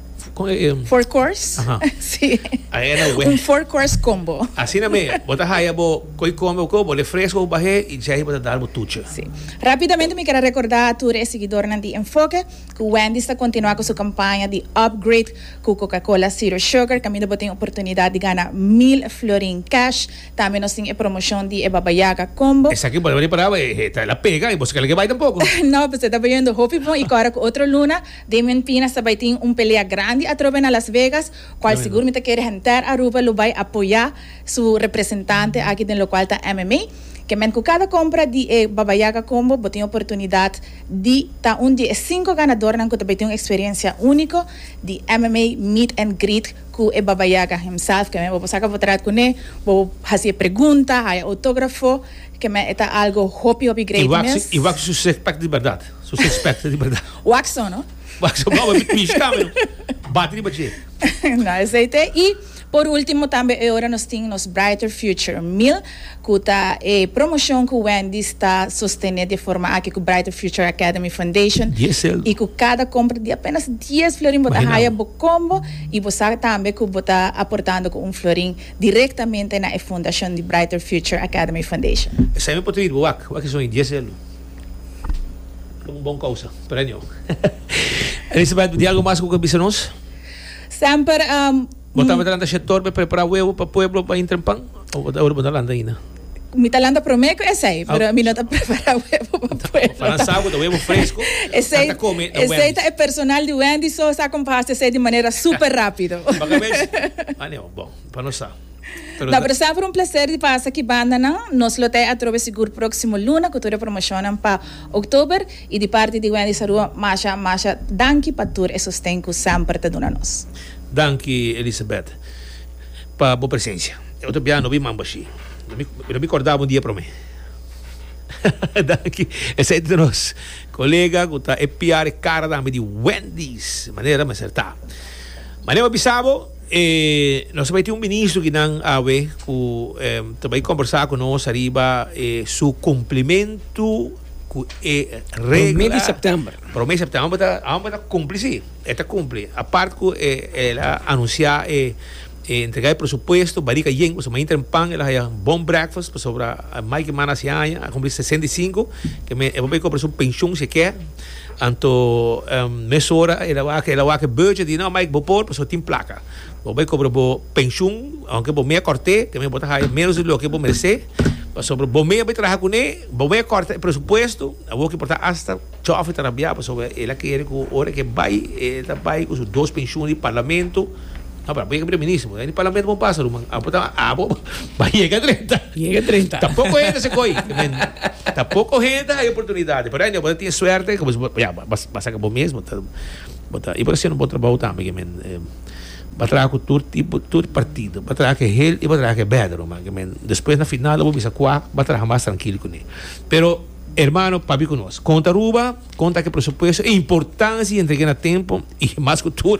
Four course? Aha. Sí. A e na we. Un four course combo. Asina me. Bo ta haya bo koi come bo kobo, refresco bo bahé y djei bo ta dal bo tuchi. Sí. Rápidamente mi kera rekordá tur e siguidornan di Enfoke ku Wendy's ta kontinuá ku su kampaña di upgrade ku Coca-Cola Zero Sugar kaminda bo tin oportunidat di gana mil florin cash. Tambe nos tin e promoshon di e Baba Yaga Combo. Esaki bo ta ripará bo e ta la pega y bo si ka lek e bai tampoko. No, pues e ta bayondo hopi bon y kora ku otro luna. Damian Pina sa bai tin un pelea grandi atrobe na Las Vegas, cual sigur mi ta kere henter Aruba lo bai apoya su representante aki den locual ta MMA. Kemen cu cada compra di e Baba Yaga Combo bo tin oportunidad di ta un di e cinco ganadornan cu ta bai tin un experiencia unico di MMA meet and greet cu e Baba Yaga himself, kemen bo por saca bo traat cune, bo por hacié pregunta, haya autografo, kemen e ta algo hopi hopi great miss. I wak su six pack di berdad. So suspect di berdad. Wax so no? Wax so no, mi mishi tambe no. Bati riba dje. Na esei te. I por ultimo tambe e ora nos tin nos Brighter Future Mil ku ta e promoshon ku Wendy's ta sostené di e forma aki ku Brighter Future Academy Foundation. Dies seldo. I ku kada kompra di apenas dies florin bo ta haya bo kombo i bo sa tambe ku bo ta aportando ku un florin direktamente na e fundashon di Brighter Future Academy Foundation. Esei mi por ta hiri bo wak, wak e son di dies seldo. Por un bon causa. Premio. Elisabeth, di algo mas cu ke bisa nos? Semper. Um, Bo ta lanta shetor pe prepara huevo pa pueblo pa intra en pan? O bo ta ora bo ta lanta ainda? Mi ta lanta prome cu esey, pero ah. mi no ta prepara huevo pa pueblo. Para sa cu ta huevo fresco. esey, ta come, ta esey ta e personal di Wendy, so sa como pa haci esey di manera super rápido. Baga vez? Ah, no, bon. Pa nos sa. Pero da. No pero semper un placer di pasa ki bandanan. Nos lo tei atrobe sigur proximo luna cu tur e promocionnan pa October. Y di parti di Wendy Sarua masha masha danki pa tur e sosten cu semper ta duna nos. Danki Elisabeth pa bo presencia. E otro bia no bin mambo ashi. Mi no bin corda bo un dia prome. Danki. Esey ta nos colega cu ta espiar e cara tambe di Wendy's manera mester ta. Mane bo bisa bo. E nos ta bai tin un ministro ki nan awe ku ta bai kombersá ku nos ariba e su kumplimentu ku e regla. Promé di sèptèmber. Promé di sèptèmber. Amba ta amba ta kumpli si. E ta kumpli. Apart ku e el a anunsiá e e entregá e presupuesto Barik a Yen pasobra mainta den pan el a haya un bon breakfast pasobra maiki mana si aña a kumpli sesenta i sinku. Ke men e por bai kobra su penshun si e kè. Anto mesora el a wak, el a wak e beurtje di no Mike bo por pasobra tin plaka. Bo bai kobra bo penshun aunke bo mea kòrt'é, te mea bo ta haya ménos di loke bo meresé pasobra bo mea bai traha kuné, bo mea kòrta e presupuesto, awo ki por ta asta chòfi ta rabiá pasobra el a kere ku ora ke bai, el ta bai ku su dos penshun di parlamento. No pero abo yega primer minister bo ta di parlamento bon pasa ruman abo ta abo ba yega trenta yega trenta ta poco hende se koi ta poco hende ta hay oportunidades pero anyway bo ta tin suerte ku bo ya ba saka bo mes bo ta bo ta y bo ta hasiendo un bon trabou tambe ke men ba traha ku tur tipo tur partido ba traha ke hel y ba traha ke bèder ruman ke men despues na final abo bisa kua ba traha mas trankil kuné pero hermano pabi ku nos konta Aruba konta ke presupuesto e importancia di entregu'é na tempo y mas ku tur.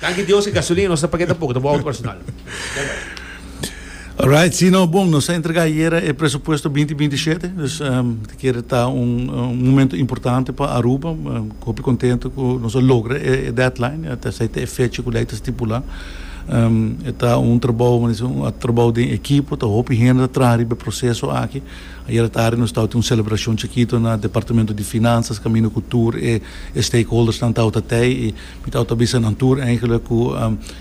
Danki Dios e gasolina nos ta paga ta poco, ta bo auto personal. Bai bai. Alright, si no, bon, nos a entrega ayera e presupuesto binti binti y shete, dus ta kere ta un momento importante pa Aruba, hopi contento cu nos a logra e deadline, ata esey ta e fecha cu ley ta stipula. E ta un trabou, manda si, un trabou den ekipo, ta hopi hende ta traha riba e proceso aki. Ayera tardi nos tabatin un celebracion chikito na Departamento di Finanzas caminda cu tur e stakeholdersnan tabata tey y. Mi ta outa bisa nan tur eigenlijk ku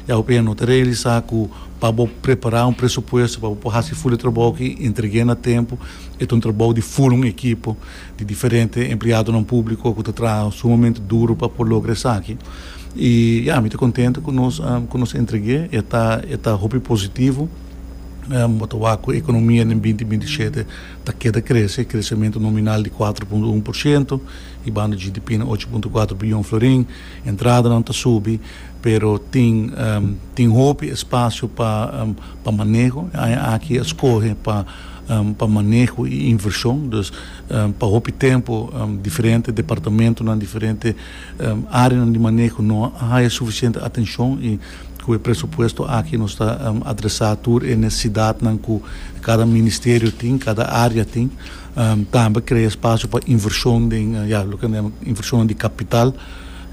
e AOPN no ta realisá ku pa bo prepará un presupuesto pa bo por hasi ful e trabou aki i entreg'é na tempu e ta un trabou di ful un ekipo di diferente empleadonan públiko ku ta traha sumamente duru pa por logra esaki. I ya mi ta kontentu ku nos ku nos entreg'é e ta e ta hopi positivo bo ta wak ku ekonomia den binti binti i shete ta keda krese, kresementu nominal di kuater punto un por shento. Di banda GDP na ocho punto kuater biljon florin, entradanan ta subi, pero tin tin hopi espasio pa pa maneho. E aña aki a skohe pa pa maneho i invershon. Dus pa hopi tempu diferente departamentunan, diferente áreanan di maneho no a haya sufisiente atenshon i ku e presupuesto aki nos ta adresá tur e nesesidatnan ku kada ministerio tin, kada área tin. Tambe krea spasio pa invershon den, ya, loke nan yaman invershonnan di kapital,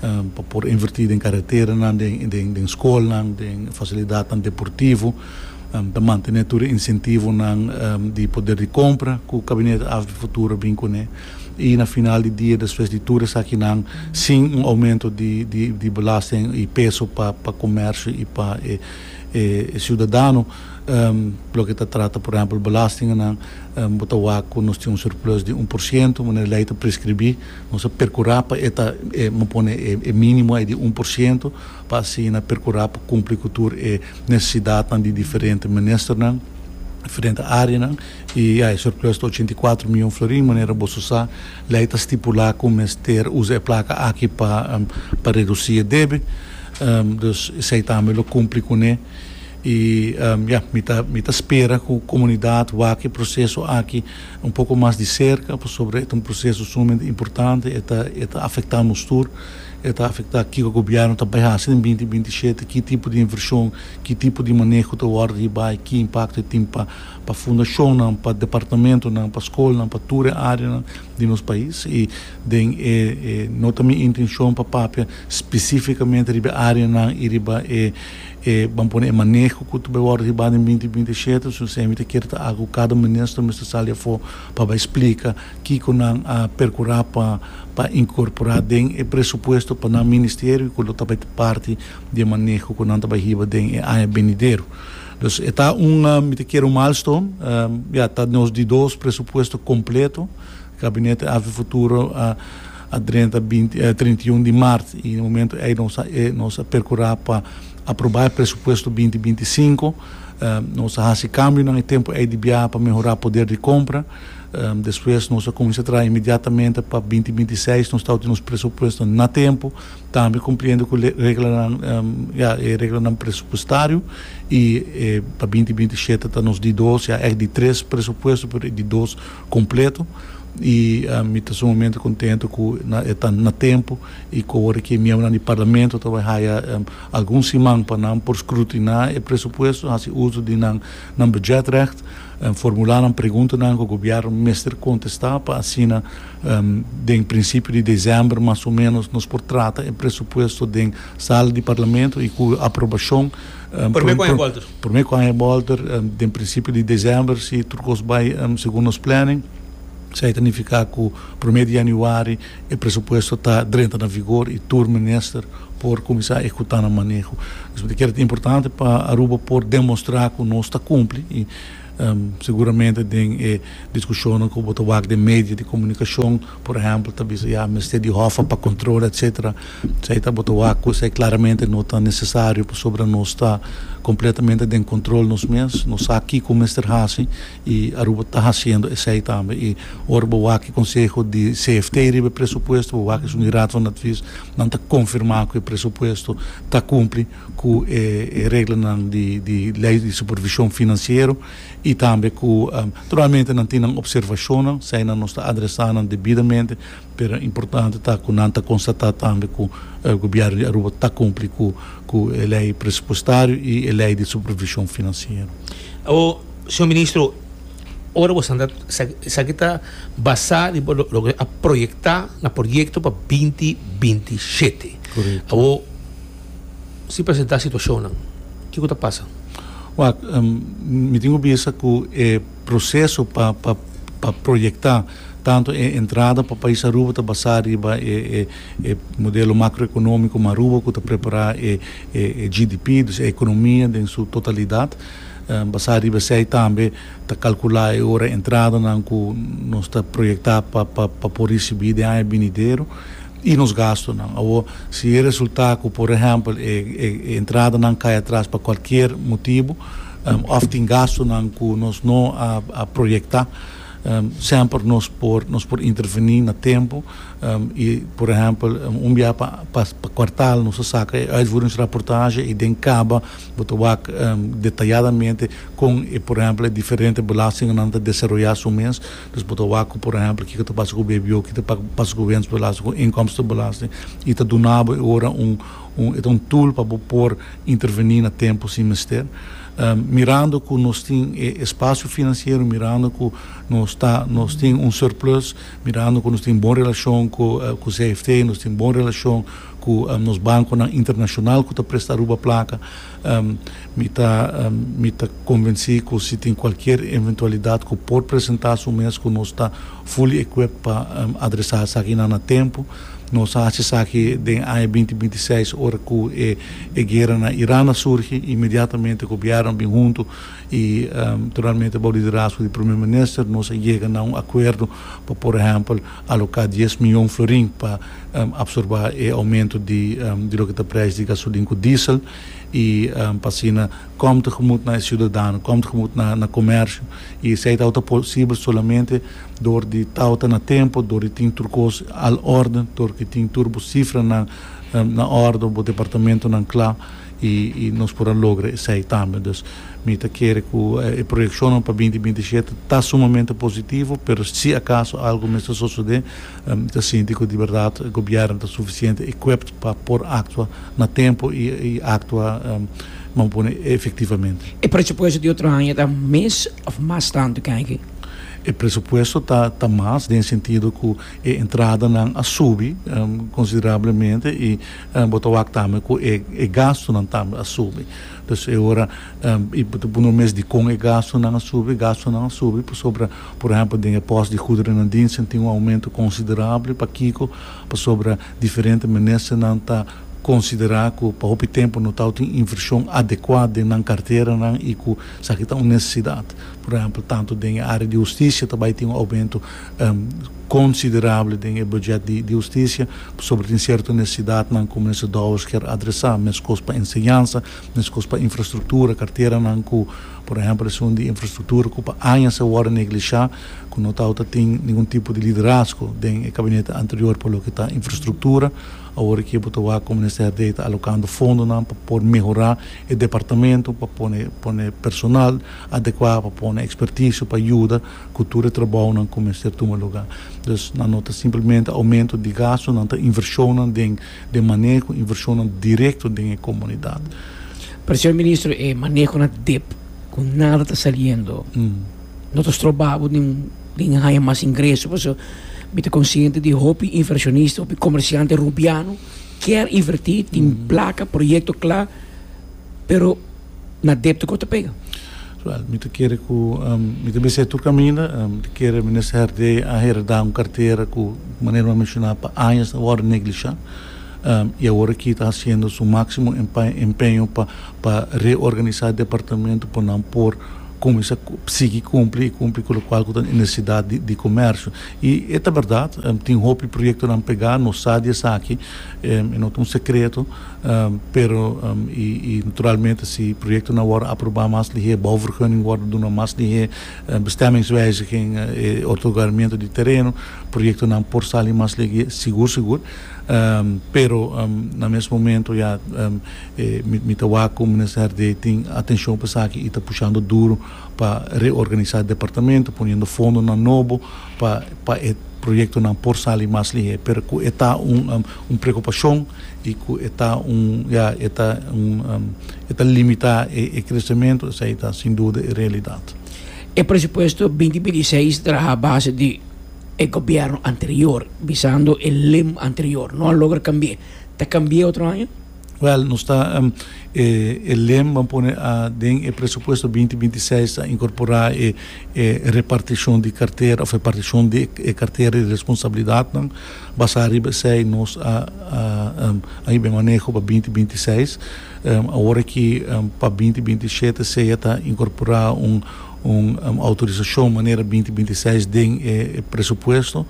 pa por invertí den karateranan, den, den skolnan, den fasilidatnan deportivo. Ta mantené tur e insentivonan di poder di kompra ku Gabinete Af di Futuro a bin kuné. I na final di dia, despues di tur esakinan, sin un oumento di, di, di belasting i peso pa, pa komersio i pa e, e, e siudadano. Loke ta trata, por ehèmpel, belastingennan, bo ta wak ku nos tin un surplus di un por sientu, manera lei ta preskribí. Nos a perkurá pa e ta, bo pone e mínimo ei di un por sientu, pa asina perkurá pa kumpli ku tur e nesesidatnan di diferente ministernan, diferente áreanan. I ya, e surplus ta ochenta i kuatro mion florin. Manera bo su sa, lei ta stipulá ku mester usa e plaka aki pa redusí e debe. Dus esei tambe lo kumpli kuné. Y ya, mi ta mi ta spera cu comunidad wak e proceso aki un poco mas di cerca, pasobra e ta un proceso sumamente importante, e ta e ta afecta nos tur, e ta afecta kico gobierno ta bay haci den binti binti shete, ki tipo di inversion, ki tipo di maneho ta wordo hir bay, ki impacto e tin pa pa fundacionnan, pa departamentonan, pa scolnan, pa tur e areanan di nos pais. Y den e e no ta mi intencion pa papia specificamente riba e areanan y riba e. e ban pone e maneho cu ta bai wordo hibá den binti binti shete, entonces emi ta kere ta agu cada minister mester sali afo pa bai splica kico nan a percurá pa pa incorporá den e presupuesto pa nan ministerio y cu lo ta bai ta parti di e maneho cu nan ta bai hiba den e aña benidero. Dus e ta un mi ta kere un milestone, ya ta nos di dos presupuesto completo, Gabinete Afy Futuro a a drenta binti e trinta i un di mart i e momento ei nos a e nos a perkurá pa aprobá e presupuesto binti binti i sinku. Nos a hasi kambionan e tempu ei di biaha pa mehorá poder di kompra. Despues nos a kuminsá traha inmediatamente pa binti binti i seis nos tabata tin nos presupuesto na tempu, tambe kumpliendo ku le reglanan ya e reglanan presupuestario i e pa binti binti i shete ta nos di dos ya èk di tres presupuesto pero e di dos Completo y mi ta sumamente contento cu e ta na tempo y cu awor aki e miembronan di Parlamento ta bay haya algun siman pa nan por scrutina e presupuesto, haci uso di nan nan budgetrecht, formula nan preguntanan cu Gobierno mester contesta pa asina den principio di december mas o menos nos por trata e presupuesto den sala di Parlamento y cu aprobacion Prome ku aña bolter? Prome ku aña bolter den prinsipio di desèmber si tur kos bai segun nos planning. Esei ta nifiká ku prome di yanüari e presupuesto ta drenta na vigor i tur minister por kuminsá a ekekutá nan maneho. Esei ta kere ta importante pa Aruba por demostrá ku nos ta kumpli i seguramente den e diskushonnan ku bo ta wak den medio di komunikashon, Por ehempel ta bisa ya mester di hòfa pa control etc. Esey ta bo ta wak cu esey claramente no ta necesario pasobra nos ta completamente den control nos mes, nos sa kico mester haci y Aruba ta haciendo esey tambe. Y ora bo wak e conseho di CFT riba e presupuesto bo wak esun y Raad van Advies nan ta confirma cu e presupuesto ta cumpli cu e reglanan di di ley di supervision financiero. i tambe ku tur mente nan tin nan opservashonnan, si ainan nos ta adresá nan debidamente, pero importante ta ku nan ta konstatá tambe ku e gobièrnu di Aruba ta kumpli ku e lei presupuestario i e lei di supervishon finansiero. Awor, señor ministro, ora bo sanda esaki ta basá riba loke a proyektá na proyekto pa binti binti shete. Korekto. Awor. si presentá situashonnan, ke ku ta pasa? Wak, mi tin ku bisa ku e proseso pa pa proyektá tantu e entrada pa pais Aruba ta basá riba e e modelo makroekonómiko ma Aruba ku ta prepará e e GDP, dus e ekonomia den su totalidat. Basá riba esei tambe ta kalkulá e ora entradanan ku nos ta proyektá pa pa por risibí den aña binidero. i nos gastunan. Awor, si e resultá ku por ehèmpel e entradanan kai atras pa kualkier motibu òf tin gastunan ku nos no a proyektá, semper nos por nos por intervení na tempu i por ehèmpel un bia pa pa kuartal nos ta saka e uitvoeringsrapportage i den kaba bo ta wak detayadamente kon e por ehèmpel e diferente belastingnan ta desaroyá su mes. Pues bo ta wak cu por ehemplo kico ta pasa cu BBO, kico ta pasa cu wensbelasting, cu inkomstenbelasting y ta duna bo e ora un un e ta un tool pa bo por interveni na tempo si mester. Mirando cu nos tin e espacio financiero, mirando cu nos ta nos tin un surplus, mirando cu nos tin bon relacion cu cu CFT, nos tin bon relacion Ku nos bankonan internashonal ku ta presta Aruba plaka, mi ta mi ta konvensí ku si tin kualkier eventualidat ku por presentá su mes ku nos ta fully equipped pa adresá esakinan na tempu. Nos a hasi esaki den aña binti binti seis ora ku e e guera na Iran a surgi. Inmediatamente gobièrnunan bin huntu i naturalmente bou liderazgo di Prome Minister nos a yega na un akuerdo pa por ehèmpel aloká dies mion florin pa absorbá e oumento di di loke ta preis di gasolin ku diesel i pa asina kòm ta gemoet na e siudadano, kòm ta gemoet na na komersio i esei tawata ta posibel solamente dor di tawata na tempu, dor di tin tur kos al orde, dor ku tin tur bo sifranan na orde, bo departamentunan kla i i nos por a logra esei tambe. Dus mi ta kere ku e proyekshonnan pa binti binti i shete ta sumamente positivo pero si akaso algu mester sosodé. Mi ta sinti ku di bèrdat gobièrnu ta sufisiente equipped pa por aktua na tempu i aktua manera pone efektivamente. E presupuesto di otro aña ta mes òf mas tantu ke aki? E presupuesto ta mas den sentido ku e entradanan a subi konsiderablemente i bo ta wak tambe ku e gastunan tambe a subi. Entonces e ora i bo ta punu mes dikon e gastunan a subi, gastunan a subi pasobra Por ehempel, den e pos di guderennan diensten tin un aumento considerable. Pakico? Pasobra diferente ministernan ta considera cu pa hopi tempo no tau tin inversion adecua den nan carteranan y cu esaki ta un necesidad. Por ehempel, tanto den e area di husticia ta bay tin un aumento considerable den e budget di husticia, pasobra tin cierto necesidadnan cu Minister Dowers kier adresa. Mescos pa enseñansa, mescos pa infrastructura, carteranan cu. Por ehempel esun di infrastruktura ku pa añas a wòrdu neglishá, ku no tawata tin ningun tipo di liderazgo den e kabinete anterior pa loke ta infrastruktura. Awor aki bo ta wak kon minister di ey ta alokando fondonan pa por mehorá e departamento, pa pone pone personal adekuá, pa pone ekspertisio pa yuda ku tur e trabounan ku mester tuma lugá. Dus nan no ta simplemente aumento di gastunan, ta invershonnan den. Den maneho ku invershonnan direkto den e komunidat. Pero señor ministro e maneho na dip ku nada ta saliendo no ta stroba bo den haña mas ingreso paso mi ta konsiente di hopi invershonista hopi komersiante rumpiano kier inverti tin plaka proyekto kla pero na depto cu ta pega. Wel, mi ta kere cu mi ta bisa e tur caminda. Mi ta kere Minister di a hereda un cartera cu, manera mi a menciona, pa añas a worde neglisha y awor aki ta haciendo su maximo empeño pa reorganisa departamento pa nan por cuminsa sigui cumpli y cumpli cu locual cu ta e necesidad di comercio. Y e ta berdad, tin hopi proyectonan pega, nos sa di esaki, e no ta un secreto. Pero i naturalmente si proyektonan wòrdu aprobá mas lihé, bouvergunning wòrdu duna mas lihé, bestemmingswijziging, e otorgamentu di tereno, proyektonan por sali mas lihé sigur sigur. Pero na mes momentu ya mi ta wak ku Minister Herdé tin atenshon pa esaki i ta pushando duru pa reorganisá departamento, poniendo fondonan nobo pa e proyektonan por sali mas lihé. Pero ku e ta un preokupashon. y cu e ta un, ya, e ta un, e ta limita e crecemento, esey ta sin duda e realidad. E presupuesto binti binti i seis traha base di e gobierno anterior, bisando e lim anterior no a logra cambie. Ta cambie otro aña? Wel, nos ta, e, e lim ban pone a, den e presupuesto binti binti i seis ta incorpora e, e reparticion di cartera of reparticion di e cartera di responsabilidadnan. Basá riba esei nos a a hib'e maneho pa binti binti seis. Awor aki pa binti binti shete sea ta inkorporá un un outorisashon manera binti binti seis den e presupuesto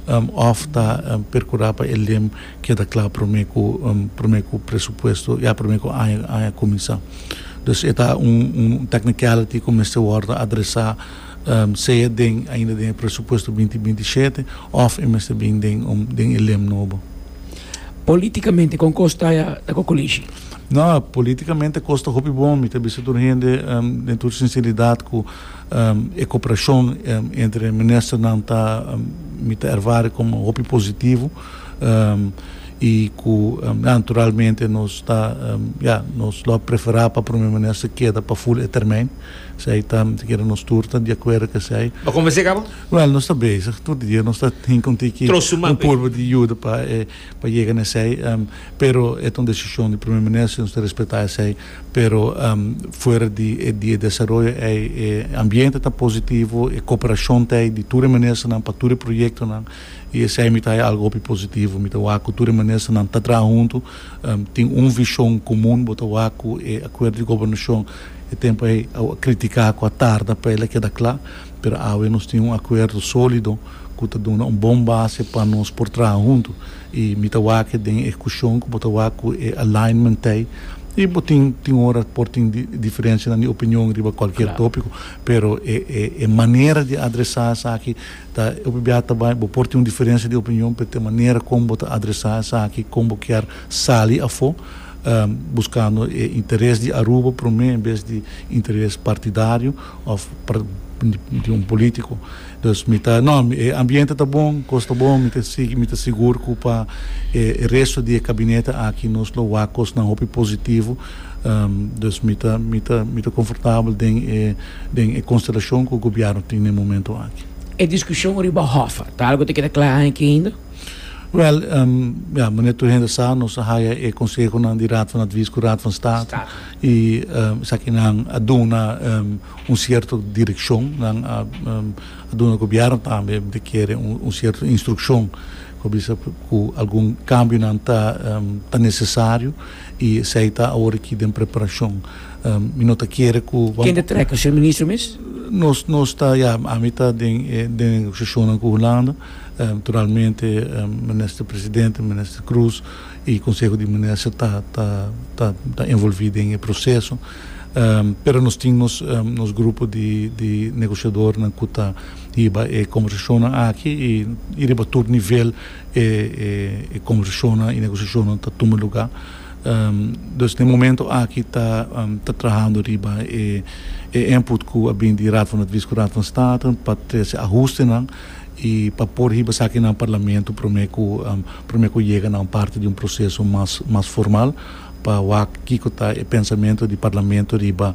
òf ta perkurá pa e lem keda kla promé ku promé ku presupuesto ya promé ku aña aña kuminsá. Dus e ta un un technicality ku mester wòrdu adresá. sea den ainda den e presupuesto binti binti i shete òf e mester bin den un den e lem nobo. Polítikamente kon kos ta ta ku Kulishi? No, polítikamente kos ta hopi bon. Mi ta bisa tur hende den tur sinseridat ku e koperashon entre ministernan ta mi ta ervare komo hopi positivo i ku naturalmente nos ta ya nos lo preferá pa Prome Minister keda pa ful e termijn. Esei ta, si kere nos tur ta di akuerdo ku esei. Bo konvensé kaba? Wèl, nos ta bezig tur di dia, nos ta tinka un tiki un purba di yuda pa e pa yega na esei, pero e ta un desishon di Prome Minister, nos ta respetá esei, pero fuera di e di e desaroyo ei e ambiente ta positivo, e koperashon ta ei di tur e ministernan pa tur e proyektonan i esei mi ta haña algu hopi positivo, mi ta wak ku tur e ministernan ta traha huntu Tin un vishon komun bo ta wak ku e akuerdo di gobernashon. E tempu ei a kritiká ku a tarda pa el a keda kla, pero awe nos tin un akuerdo sólido ku ta duna un bon base pa nos por traha huntu. I mi ta wak e den ehekushon ku bo ta wak ku e alignmentei. I bo tin tin ora por tin diferenshanan di opinion riba kualkier tópiko, pero e manera di adresá esaki. Ta hopi biaha ta bai bo por tin un diferensia di opinion p'e te manera kon bo ta adresa esaki, kon bo kier sali afó, buskando e interes di Aruba promé en bes di interes partidario òf di un polítiko. Dus mi ta nò, e ambiente ta bon, kos ta bon, mi ta sigui, mi ta sigur ku pa e resto di e kabinete aki nos lo wak kosnan hopi positivo Dus mi ta mi ta mi ta konfortabel den e den e konstelashon ku gobièrnu tin den momentu aki. E diskushon riba hòffa ta algu ku ta keda kla aki ainda? Wèl, ya, manera tur hende sa, nos a haya e konsehonan di Raad van Advies ku Raad van Staat i esakinan a duna un sierto direkshon. Nan a a duna gobièrnu tambe mi ta kere un sierto instrukshon ku a bisa ku algun kambionan ta ta nesesario. I esei ta awor aki den preparashon. Mi no ta kere ku. Ken ta trèk ser ministro mes? Nos nos ta ya ami ta den e den e negosiashonnan ku Hulanda, naturalmente minister presidente, minister Kroes i konseho di minister ta ta ta ta envolvi den e proseso. Pero nos tin nos nos grupo di di negosiadornan ku ta hiba e kombersashonnan aki i riba tur nivel E e conversashonnan y negociashonnan ta tuma lugar. Dus den e momento aki ta ta trahando riba e e input cu a bin di Raad van Advies cu Raad van State pa trece ahustenan y pa por hiba esaki na Parlamento prome cu prome cu yega na un parti di un proceso mas mas formal. pa wak kiko ta e pensamentu di Parlamento riba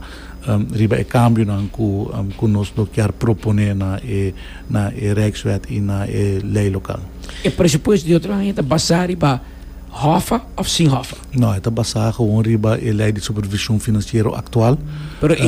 riba e kambionan ku ku nos lo kier proponé na e na e Rijkswet i na e lei lokal. E presupuesto di otro aña ta basá riba hòffa òf sin hòffa? No, e ta basá gewoon riba e lei di supervishon finansiero aktual. Pero e.